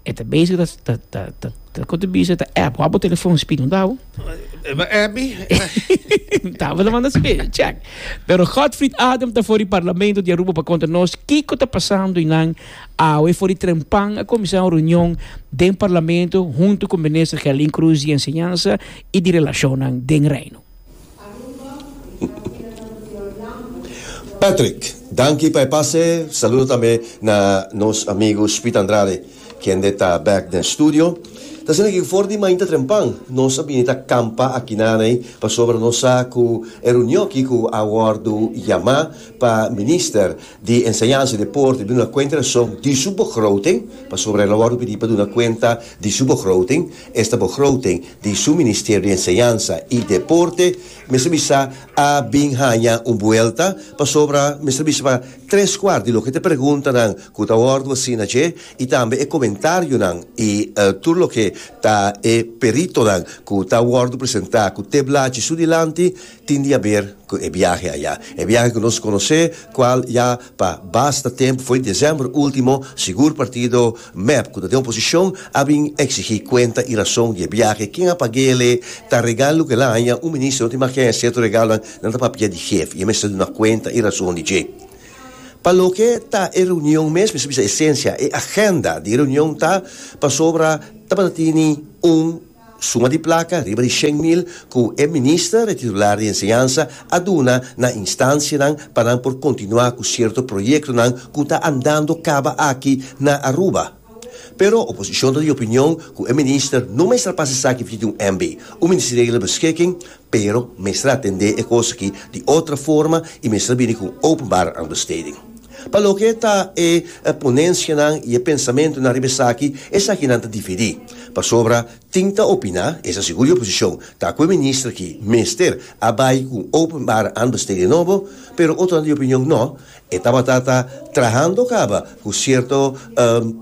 e ta bezig ta ta ta ta ta con ta bisa ta app, wak bo telefon Speed no tabo? E ba app mi. N tabo ta manda Speed e check. Pero Godfried Adam ta for di Parlamento di Aruba pa conta nos kico ta pasando aynan awe for di trempan a cuminsa un reunion den Parlamento hunto cu Minister Geraldine Cruz di Enseñansa y di Relacionnan den Reino. Patrick, danki pa e pase. Saludo tambe na nos amigu Speed Andrade, kende ta bek den studio. Ta siña ke for di mainta trempan nos a bini ta kampa aki naney, pasobra nos sa ku e reunio aki ku a wòrdu yamá pa Minister di Enseñansa i Deporte duna kuenta di su begroting, pasobra el a wòrdu pidi pa duna kuenta di su begroting. Esta begroting di su Ministerio di Enseñansa i Deporte mester bisa a bin haña un buelta pasobra mester bisa pa tres kuart di loke ta e preguntanan ku ta wòrdu hasi na dje i tambe e komentarionan i tur loke ta e peritonan ku ta wòrdu presentá ku te blachi su dilanti Tin di haber cu e biahe aya. E biahe cu nos conoce, cual ya pa basta tempo fo'i december ultimo, sigur partido mep cu ta den oposicion a bin exigi cuenta y razon di e biahe, ken a pague'le, ta regal lo cu el a haña, un minister no tin mas haña cierto regalonan, nan ta papia di hef y e mester duna cuenta y razon di dje. Pa loke ta e reunion mes, mester bisa esencia, e agenda di e reunion ta pasobra tabata tini un. Suma di plaka riba di shen mil ku e Minister e titular di Enseñansa a duna na instansianan pa nan por kontinuá ku sierto proyektonan ku ta andando kaba aki na Aruba. Pero oposishon ta di opinion ku e Minister no mester pasa esaki via di un MB, un ministeriële beskikking, Pero mester atendé e kos akí di otro forma i mester bini ku un openbare understeding. Pa loke ta e ponensianan i e pensamentunan riba esaki, esakinan ta dividí. Pasobra tin ta opiná, esa sigur di oposishon, ta ku e minister akí mester a bai ku un openbare understeding nobo, pero otronan di opinion nò, E tabata ta trahando caba cu cierto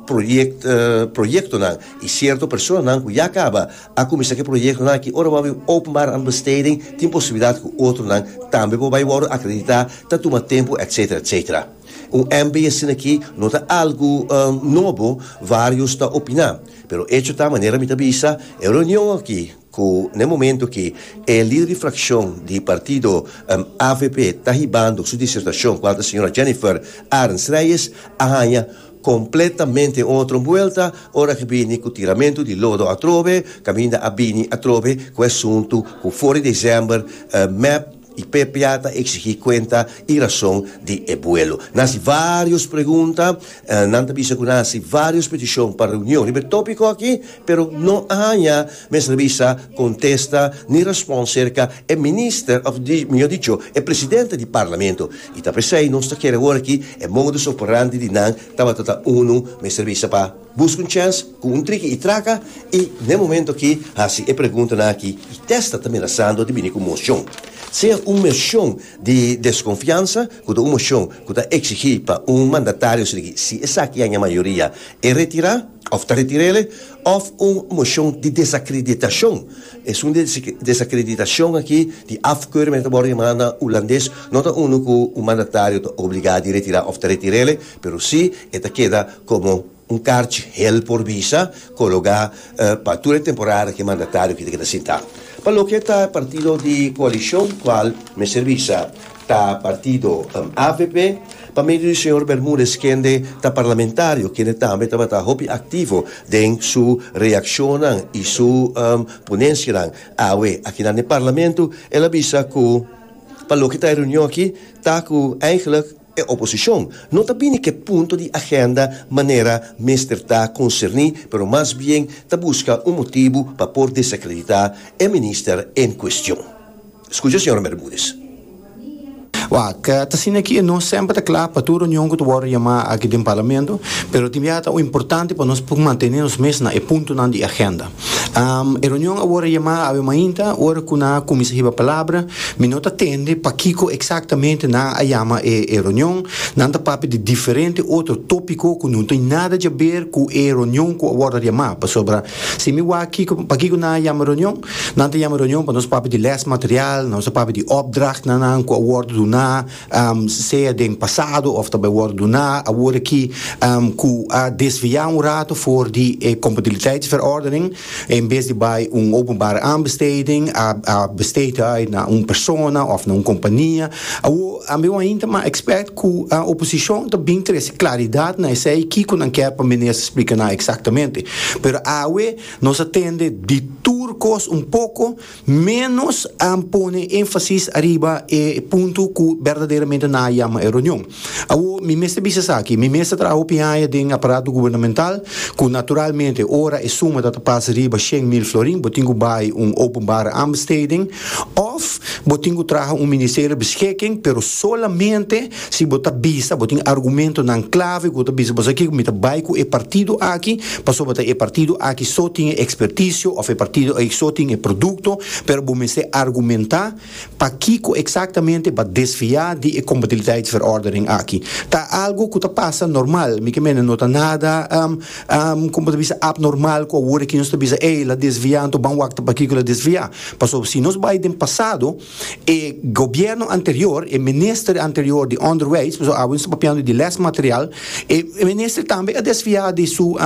proyectonan y cierto personanan cu ya caba a cuminsa cu e proyectonan aki. Ora bo a bin openbaar an besteding tin posibilidad cu otronan tambe por bay wordo acredita, ta tuma tempo etcetera etcetera. Un MB asina aki no ta algo nobo, varios ta opina, pero echo ta manera mi ta bisa e reunion aki Cu n'e momento aki e lider di fraccion di partido avp ta hibando su disertacion cu anta señora Jennifer Arends Reyes a haña completamente un otro buelta ora cu bini cu tiramento di lodo atrobe, caminda a bini atrobe cu e asunto cu for di december mep. Y Pepia ta exigi cuenta y razon di e vuelo. Nan haci varios pregunta, nan ta bisa cu nan haci varios peticion pa reunion riba e topico aki, pero no a haya mester bisa contesta ni respons cerca e Minister, of mejor dicho, e Presidente di Parlamento. Y ta pesey nos ta kere hoor aki e modus operandi di nan tabata ta unu mester bisa pa. Busca un chèns cu un triki i traca i n'e momento aki haci e preguntanan aki i testa ta menasando di bini cu mocion. Sea un mocion di desconfiansa cu ta un mocion cu ta exigi pa un mandatario sigi si esaki aña mayoria e retira of ta retirele of un mocion di desacreditacion. Esun di desacreditacion aki di afkeuring mester worde yama na Hulandes no ta unu cu un mandatario ta obliga di retira of ta retirele. Pero si e ta keda komo un karchi hel por bisa, kologá pa tur e temporada ki mandatario aki ta keda sintá. Pa loke ta e partido di koalishon kual mester bisa ta partido avp, pa medio di señor Bermudez kende ta parlamentario kende tambe tabata hopi aktivo den su reakshonnan i su ponenshianan awe akinan den parlamento, el a bisa ku pa loke ta e reunion aki ta ku eigelik, E oposicion no ta bini cu e punto di agenda manera mester ta concerni pero mas bien ta busca un motibu pa por desacredita e minister en cuestion. Scucha Sra. Bermudez. Wak, ta asina aki e no semper ta cla pa tur reunion cu ta wordo yama aki den Parlamento, pero tin bia ta importante pa nos por mantene nos mes na e puntonan di agenda. Um, e reunion a worde yamá awe mainta, ora ku nan a kuminsá hiba palabra. Mi no ta tende pakiko eksaktamente nan a yama e e reunion. Nan ta papia di diferente otro tópiko ku no tin nada djaber ku e reunion ku a worde yamá. Pasobra si mi wak kiko pakiko nan a yama reunion, nan ta yama reunion pa nos papia di lèsmaterial, nos a papia di òpdrachtnan nan ku a worde duná, sea den pasado of ta bai wòrdu duná awor aki ku a desviá un ratu for di e kompatibiliteitsverordening, en bes di bai un openbare aanbesteding a besteed bai na un persona of na un kompania. Awor ambew a hinta ma ekspèrt ku oposishon ta bin trese klaridat na esei kiko nan kèr pa minister splika nan eksaktamente. Pero awe nos a tende di tur kos un poko. Ménos a pone énfasis ariba e punto ku berdaderamente nan a yama e reunion. Awor, mi mester bisa esaki, mi mes ta traha hopi haña den aparato gubernamental, ku naturalmente ora e suma ta ta pas riba shen mil florin, bo tin ku bai un openbare aanbesteding òf bo tin ku traha un ministerio beschikking, pero solamente Si bo ta bisa bo tin argumentonan klave ku bo ta bisa bo sa kiko mi ta bai ku e partido aki pasobra ta e partido aki so tin e ekspertisio òf e partido aki so tin e produkto pero bo mester argumentá pakiko eksaktamente bo a desviá di e kompatibiliteitsverordening aki. Ta algu ku ta pasa normal mi ke mene no ta nada kon bo ta bisa apnormal ku a wor aki nos ta bisa ey el a desviá anto ban wak ta pakiko el a desviá pasobra si nos bai den pasado E gobierno anterior, e minister anterior di onderwijs, pasobra awe nos ta papiando di lesmaterial, e minister tambe a desfia di su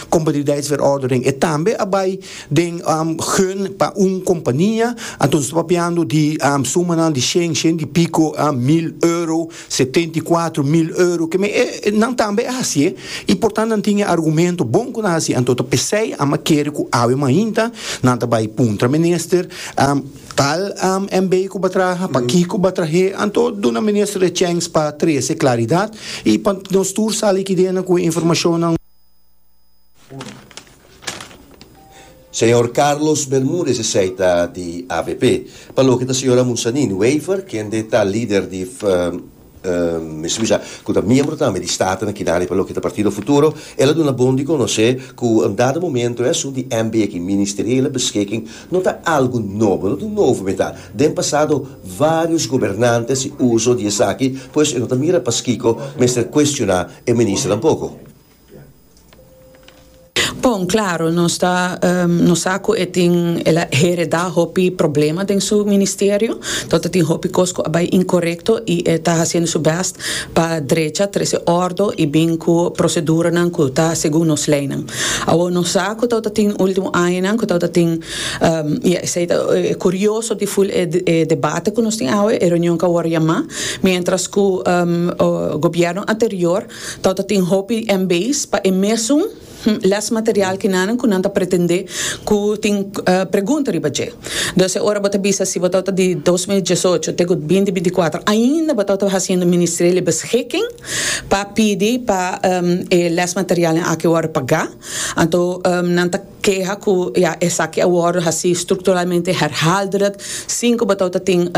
compatibiliteitsverordening, e tambe a bai den gun pa un compania, anto nos ta papiando di sumanan di shen, shen y pico mil euro, setenta y cuatro mil euro, keme e nan tambe a hacié y por tanto nan tin e argumento bon cu nan hacié, anto ta pesey, ama kere cu awe mainta nan ta bai puntra minister. Tal AMB ku ba traha, pa kiko ba trah'é, anto duna minister e chèns pa trese klaridat i pa nos tur sa likidenan ku e informashonnan. Señor Carlos Bermudez esei ta di avp. Pa loke ta señor Amunsanin Wever, kende ta lider di. Mi su bisa cu ta miembro tambe di Staten Kinari pa loke ta Partido Futuro. El a duna bon di conoce cu un dado momento esun di MB aki ministeriele beschikking no ta algo nobo, no ta un novo meta. Den pasado varios gobernantes y uso di esaki, pues e no ta mira paskiko mester cuestiona e minister tampoco. Bon, claro, nos ta, nos sa cu e tin, el a hereda hopi problema den su ministerio, tot a tin hopi cos cu a bay incorecto y e ta haciendo su best pa drecha, trece ordo y bin cu proceduranan cu ta segun nos leynan. Awor nos sa cu tot a tin ultimo añanan cu tot a tin, y esey ta e curioso di full e e debate cu nos tin awe, e reunion cu a worde yama, mientras cu gobierno anterior Tau ta tin hopi MB's pa e mesun lesmaterial kinanen ku nan ta pretendé ku tin pregunta riba dje. Dus e ora bo ta bisa si bo tau ta di dos mil diesocho te ku binti binti kuater ainda bo tau ta hasiendo ministerio di beskiking pa pidi pa e lesmaterialnan aki wòrdu pagá, anto nan ta. Keha ku ya esaki a wòrdu hasi strukturalmente herhaaldelijk sin ku bo ta ota tin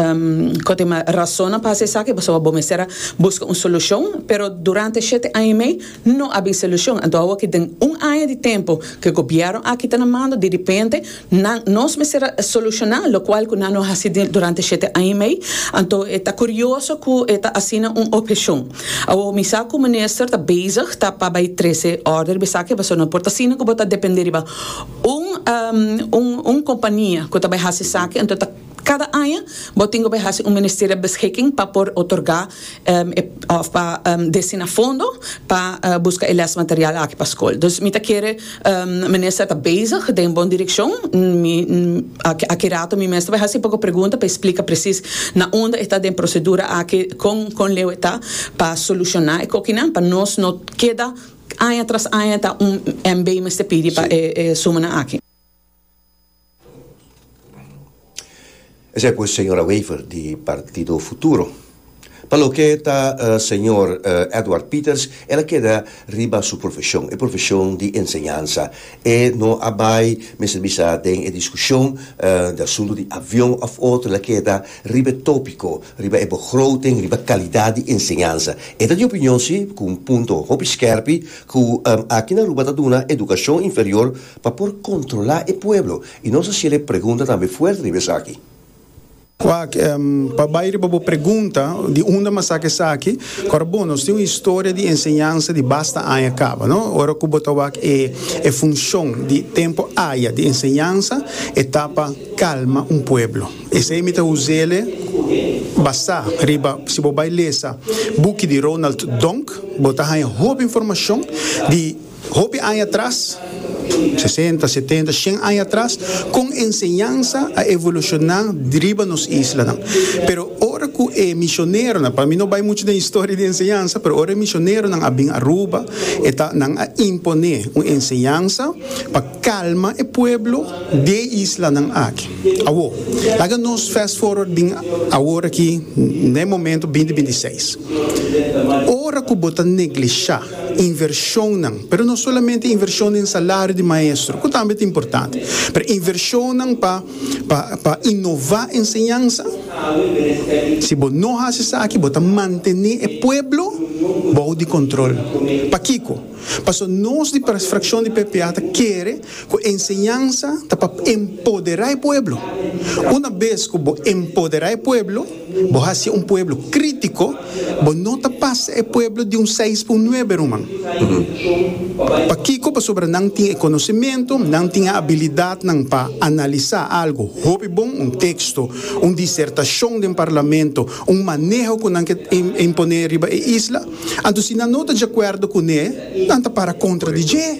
kòtema rasonnan pa hasi esaki, pasobra bo mester a buska un solushon. Pero durante e shete aña i mei no a bin solushon. Anto awe ki den un aña di tempu ku e gobièrnu aki ta na mando, diripente nan, nos mester a solushoná lokual ku nan no a hasi durante e shete aña i mei. Anto e ta kurioso ku e ta asina un opshon. Awor mi sa cu minister ta bezig ta pa bay trece order di esaki pasobra por ta asina cu bo ta depende riba un un compania cu ta bay haci esaki enton ta cada aña bo tin cu bay haci un ministerial beschikking pa por otorga of pa destina fondo pa busca e les material aki pa school. Dus mi ta kere. Minister ta bezig den bon direkshon. Mi aki rato mi mester bai hasi poko pregunta pa e splika presis na unda e ta den prosedura aki, kon kon leu e ta pa solushoná e kokinan pa nos no keda aña tras aña ta un MB mester pidi pa e sumanan aki. Esei pues señora Wever di Partido Futuro. Pa loke ta señor Edward Pieters el a keda riba su profesion, e profesion di enseñansa. E no a bai mester bisa den e diskushon di asuntu di avion of otro, el a keda riba e topiko, riba e begroting, riba kalidat di enseñansa. E ta di opinion si, ku un punto hopi skèrpi, ku aki na Aruba ta duna edukashon inferior Pa por kontrolá e pueblo. I nos a shele pregunta tambe fuerte riba esaki. Wak, Pa bai riba bo pregunta, di unda mi a saca esaki? Ora bon, nos tin un historia di enseñansa di basta aña caba, no? Ora cu bo ta wak e funcion di tempo aya di enseñansa, e ta pa calma un pueblo. Esey mi ta uzele basá riba, si bo bai lesa buki di Ronald Donk, bo ta haña hopi informacion di. Hopi aña atras, sesenta, setenta, shen aña atras, kon e enseñansa a evolushona riba nos islanan. Pero ora ku e misioneronan, pa mi no bai muchu den historia di enseñansa, pero ora e misioneronan a bin Aruba, e ta, nan a imponé un enseñansa pa kalma e pueblo di e islanan aki. Awo, laga nos fast forward bin awor aki, na e momento binti binti seis. Ora ku bo ta neglishá. invershonnan, pero no solamente invershon den salario di maestro, ku tambe ta importante, pero invershonnan pa pa pa inová enseñansa. Si bo no hasi esaki bo ta mantené e pueblo bou di kòntròl. Pakiko? Pasobra nos di Frakshon di PPA ta kere Ku enseñansa ta pa empoderá e pueblo. Una bes ku bo empoderá e pueblo, bo hasié un pueblo krítiko, bo no ta pasa e pueblo di un seis pa un nuebe, ruman. Pakiko? Pasobra nan tin e konosementu, nan tin e abilidatnan pa analisá algu hopi bon, un teksto, un disertashon den parlamento, un maneho ku nan ke imponé riba e isla. Anto si nan no ta djakuerdo kuné, nan ta para kontra di dje.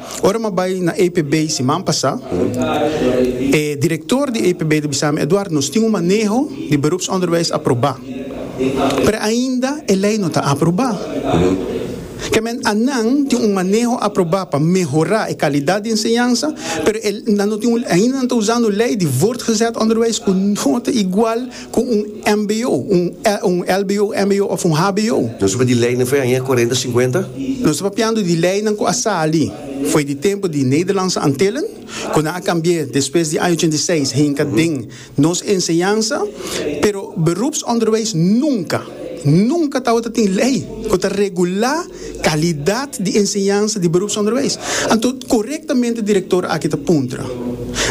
Ora m'a bai na APB siman pasá, e direktor di APB ta bisami, Eduard, nos tin un maneho di beroepsonderwijs aprobá, pero ainda e lei no ta aprobá. Ke men anan tin un maneho aprobá pa mehorá e kalidat di enseñansa, pero e nan no tin un, ainda nan ta usando lei di voortgezet onderwijs ku no ta igual, cu un mbo, un lbo, mbo of un hbo. Nos ta papia di leynan fo'i aña cuarenta, cincuenta? Nos ta papiando di leynan cu a sali fo'i di tempo di Nederlandse Antillen, cu nan a cambi'e despues di aña ochenta i seis hinca den nos enseñansa, pero beroepsonderwijs nunca, nunca tawata tin ley cu ta regula calidad di enseñansa di beroepsonderwijs. Anto corectamente director aki ta puntra.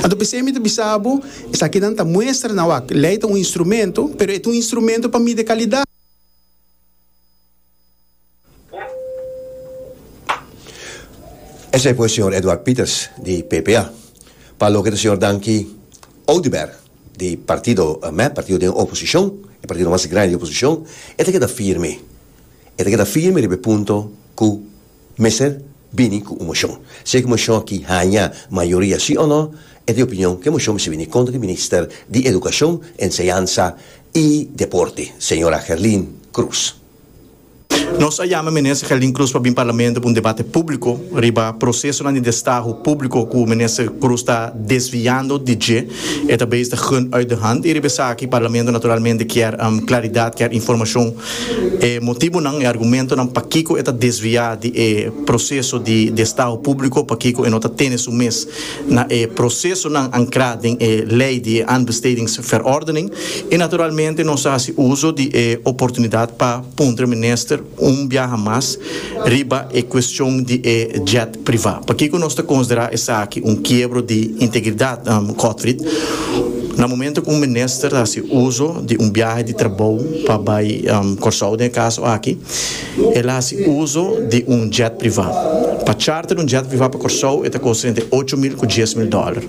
Anto p'esei mi ta bisa bo, Esaki nan ta muestra na wak. Lei ta un instrumento, pero e ta un instrumento pa mide kalidat. Esei por e señor Edward Pieters di PPA, pa loke ta señor Dankie Oduber di partido mep, partido den oposicion, e partido mas grandi di oposicion, e ta keda firme. E ta keda firme riba e punto cu Mester bini ku un moshon. Si e moshon aki haña mayoria si o no, e ta e opinion ku e moshon mester bini kontra di Minister di Edukashon, Enseñansa i Deporte, señora Gerlin Cruz. Nos a yama Minister Gerlin Cruz pa bin Parlamento pa un debate públiko riba prosesonan di destahu públiko ku Minister Cruz ta desviando di dje. E ta bezig ta gund uit de hand y riba esaki Parlamento naturalmente kier claridad, kier informacion, e motibonan, e argumentonan pakico e ta desvia di e proceso di estado publico, pakico e no ta tene su mes na e procesonan ancra den e ley di e Aanbestedingsverordening y naturalmente nos ta haci uzo di e oportunidad pa puntra Minister, Un biaha mas riba e cuestion di e jet priva. Pakico nos ta considera esaki un kiebro di integridad, Cotfrid? Na momento cu un minister ta haci uzo di un biaha di trabou pa bay Corsou, den e caso aki, el a haci uzo di un jet priva. Pa charter un jet priva pa Corsou e ta costa entre ocho mil cu diez mil dollar.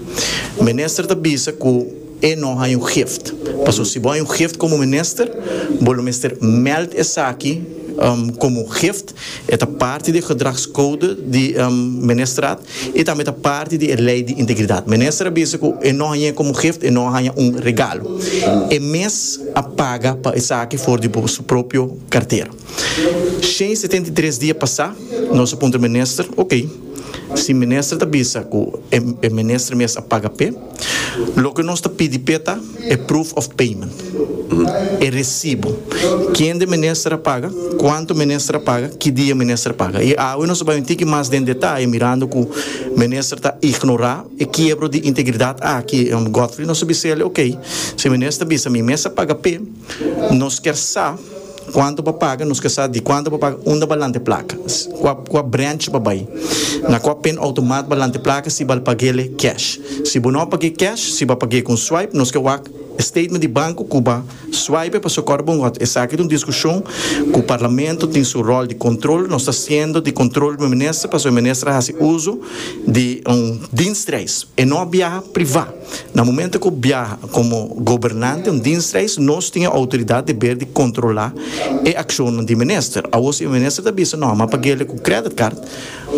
Minister ta bisa cu. E no haña un gift. Pasobra si bo haña un gift komo minister, bo lo mester mèld esaki komo un gift. E ta parti di e gedragskoude di ministerat i tambe ta parti di e lei di integridat. Minister a bisa ku e no hañ'é komo un gift, e no a haña un regalo. E mes a paga pa esaki for di bo su propio kartera. Shen i setenta i tres dia pasá, nos a puntra minister, ok, si minister ta bisa ku e minister mes a paga p'e, loke nos ta pidi p'e ta e proof of payment, e resibu, kende minister a paga, kuantu minister a paga, ki dia minister a paga. I awe nos a bai un tiki mas den detaye mirando ku minister ta ignorá e kiebro di integridat aki, Godfrey nos a bise'e, ok, si minister ta bisa mi mes a paga p'e, nos kier sa, Cuanto pa paga, nos ke sa di cuanto pa paga, unda ba lante placa, cua cua branch ba bay, na cua pen automat ba lante placa si bal pagele cash. Si bo no page cash, si ba page con swipe, nos ke wak e statement di banco cu ba swipe paso cor bo ngot esaki ta un discusion cu parlamento tin su rol di control, nos ta siendo di control riba minister paso e minister a haci uzo di un dienstreis, e no a biaha priva. Na momento cu biaha como gobernante un dienstreis nos tin e autoridad deber di controla e accionnan di minister. Awo si e minister ta bisa no a mapa gele cu credit card,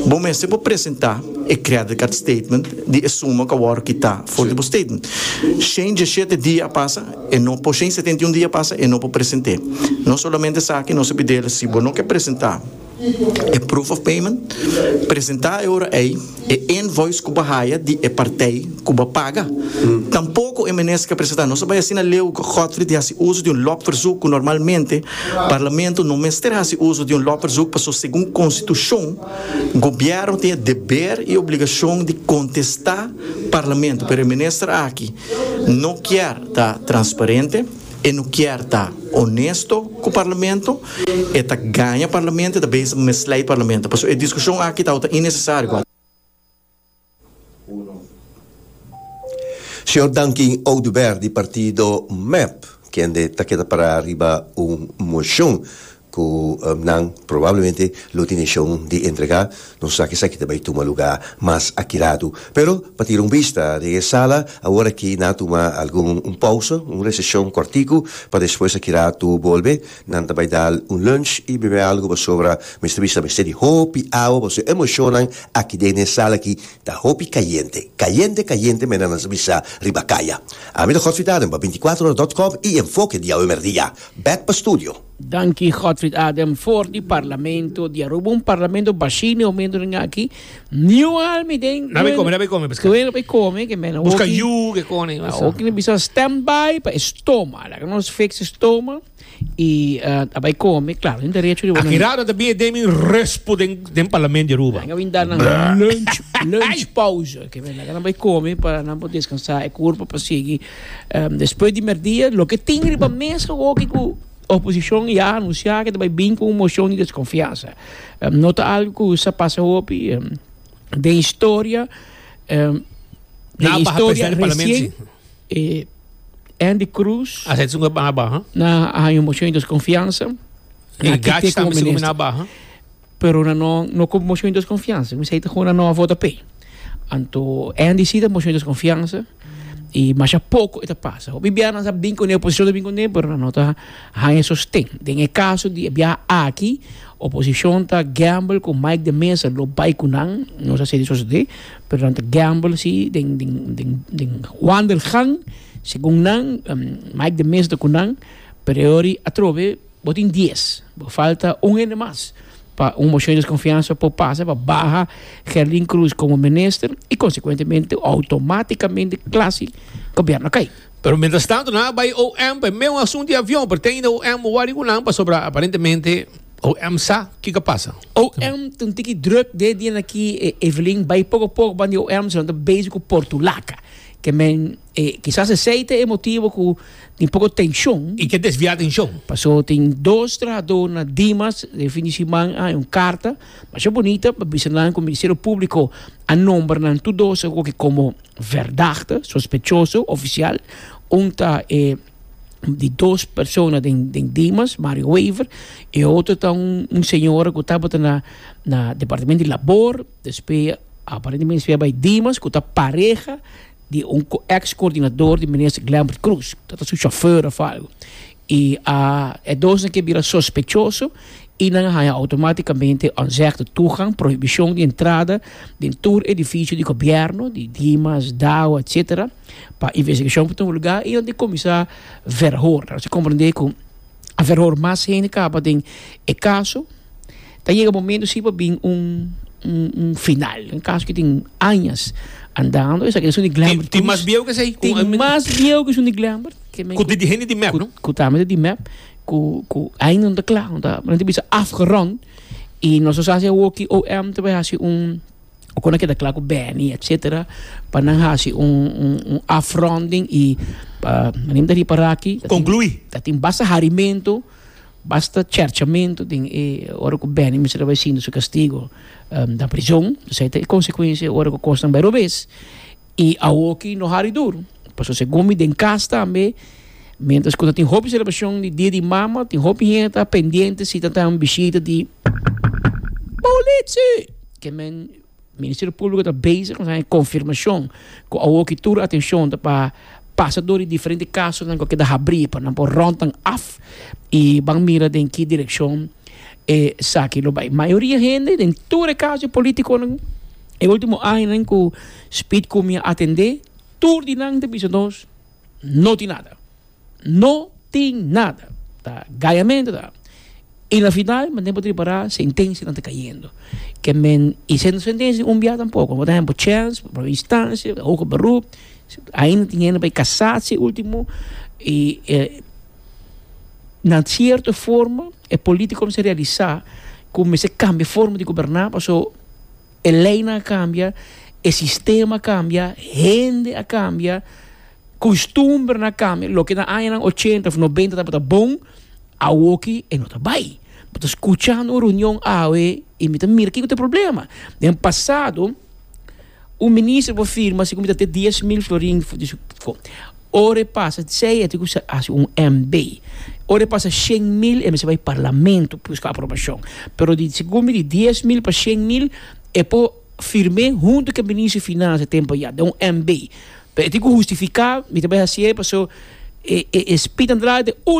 bo mester por presenta e credit card statement di e suma cu a worde kita for di bo statement. Shen dieschete dia a pasa e no por shen setenta y un dia a pasa e no por present'e. Nos solamente esaki nos a pidel si bo no ke presenta. e proof of payment, presentá e ora ei e invoice ku bo haya di e partij ku bo paga. Tampoko e Minister ka presentá. Nos a bai asina leu Godfrey di hasi uso di un lopverzoek ku normalmente Parlamento no mester hasi uso di un lopverzoek paso segun Konstitushon Gobièrnu tin e deber i obligashon di kontestá Parlamento pero e Minister aki no kier ta transparente. E no kier ta onesto cu Parlamento, e ta gaña Parlamento, e ta bezig pa mislei Parlamento. Pasobra e discusion aki tawata innecesario. Señor Duncan Oduber di partido mep kende ta keda para riba un mocion. ku nan probablemente lo tin deshon di entregá, nos sa kisa ki ta bai tuma lugá mas aki ladu. Pero pa tira un bista den e sala awor aki nan a tuma algun un pausa, un reseshon kòrtiku pa despues aki ratu bolbe. Nan ta bai dal un lunch i bebe algu pasobra mester bisa mester di hopi awa pasobra e moshonnan aki den e sala aki ta hopi kayente, kayente kayente mena nan sa bisa riba kaya. Ami ta Gòt Fidaren pa binti kuater ora dòt kòm i Enfoke diawe merdia. Bèk pa studio. Danki Godfrid Adam for di parlamento di Aruba, un parlamento bashi ni momento den aki, niu almi den. Na bay come, na bay come pesca. Tuel na bay come, que men. Busca yu, que cone. Oki na bisa stand by pa estoma, laga nos fix estoma y uh, a bay come, claro, den derecho di. Aki raro ta bin den mi respo den den parlamento di Aruba. Nga bin dan lunch lunch pauze, que men laga na bay come para na bo descansar e cuerpo pa sigui. Despues di merdia, loke tin riba mes awoke ku oposishon ya anunsiá ke ta bai bin ku un moshon di deskonfiansa. No ta algu ku sa pasa hopi den historia, den historia resien Andy Cruz na haña un moshon di deskonfiansa. Pero nan no no cu motion di desconfianza. Mi sa y ta honan no a vota p'e. Anto NDC ta motion di desconfianza y masha poco e ta pasa. Hopi bia nan sa bin cu ne, oposición ta bin cu ne, pero nan no ta haña e sosten. Den e caso di e bia aki, oposición ta gamble cu Mike de Meza lo bay cu nan, nos a sedi sosode, pero nan ta gamble si den den den den wandelgang. Segun nan, Mike de Meza ta cu nan, pero e ora y atrobe. Bo tin dies. Bo falta un hende mas pa un moshon di deskonfiansa por pasa pa baha Gerlin Cruz komo minister i konsekuentemente outomatikamente klasi gobièrnu a kai. Pero mientras tanto nan a bai OM pa e meun asuntu di avion, pero te ainda OM wòri ku nan pasobra aparentemente OM sa kiko a pasa. OM ta un tiki druk de dianakí, e Evelyn bai poko poko ban di OM, cion ta bezig ku Portulaca, ke men E kisas esei ta e motibu ku tin poko tenshon. I ke desviá atenshon. Pasó tin dos trahadó na Dimas e fin di siman a un karta masha bunita pa bisa nan ku Ministerio Públiko a nombra nan tur dos akoke komo verdagte, sospechoso, ofisial. Un ta e di dos persona den Dimas, Mario Wever, e otro ta un señora ku tabata na na Departamento di Labor, despues aparentemente despues a bai Dimas ku ta pareha. di un ex coordinador di minister Glembert Cruz ta ta su chauffeur of algo y a e dosnan ke bira sospechoso y nan a haña automaticamente onzegde tugang, prohibicion di entrada, den tur edificio di gobierno, di Dimas, Dow etcetera pa investigacion por tuma lugar y nan ta cominsa verhoor. Así comprende cu. A ver hor mas hende kaba den e kaso, ta yega momento si pa bin un un final. Un kaso ki tin añas andando, esaki ta esun di Glambert. Tin mas bieu ke esei? Tin mas bieu ke esun di Glambert. Ku di hende di mep, no? Ku tambe di mep, ku ku ainda no ta kla, no ta, men ta bisa afgerond, i nos ta hasi awoki OM ta bai hasi un Oko nan keda kla ku Benny etsetera pa nan hasi un un afronding i pa manem ta ripara aki Conclui. ta tin basta harimentu basta cherchamentu den e ora ku Benny mester a bai sinti su kastigo na prison esei ta e konsekuensia ora ku kosnan bai robes. I awoki no hari dur, pasobra segun mi den kas tambe, miéntras ku ta tin hopi selebrashon di Dia di Mama, tin hopi hende ta pendiente si ta tan bishita di Politsi! Ke men Ministerio Públiko ta bezig na haña konfirmashon ku awoki tur atenshon ta pa pasa dor di diferente kasonan ku a keda habrí pa nan por ròntan af i ban mira den ki direkshon esaki lo bai. Mayoria hende den tur e kaso di polítikonan. E ultimo añanan cu Speed cu mi a atende, tur di nan ta bisa nos, No tin nada. No tin nada. Ta gayamento ta. Y na final, manten bo tripara, sentencianan ta cayendo. Ke men y sento sentencia di un bia tampoco. Por ehemplo, Chance, por primera instancia, Hoger Beroep, ainda tin hende pa e casatie ultimo. Y e, na cierto forma, e politiconan mester realisa cu mester cambia forma di goberna, paso. E leinan a kambia, e sistema a kambia, hende a kambia, kustumbrenan a kambia. Loke na añanan ochenta òf nobenta tabata bon, awoki e no ta bai. Mi ta skucha un reunion awe i mi ta mira kiko ta e problema. Den pasado. Un minister por firma si comita te dies mil florin for di su cont. Ora e pasa sei e tin cu haci un MB. Ora e pasa shen mil e mester bay parlamento pa busca aprobacion. Pero di segun di dies mil pa shen mil e por firme hunto cu e minister di financia tem pa ya den un MB. Pero e tin cu hustifica mi ta bay haci e paso e spita na draai te uno.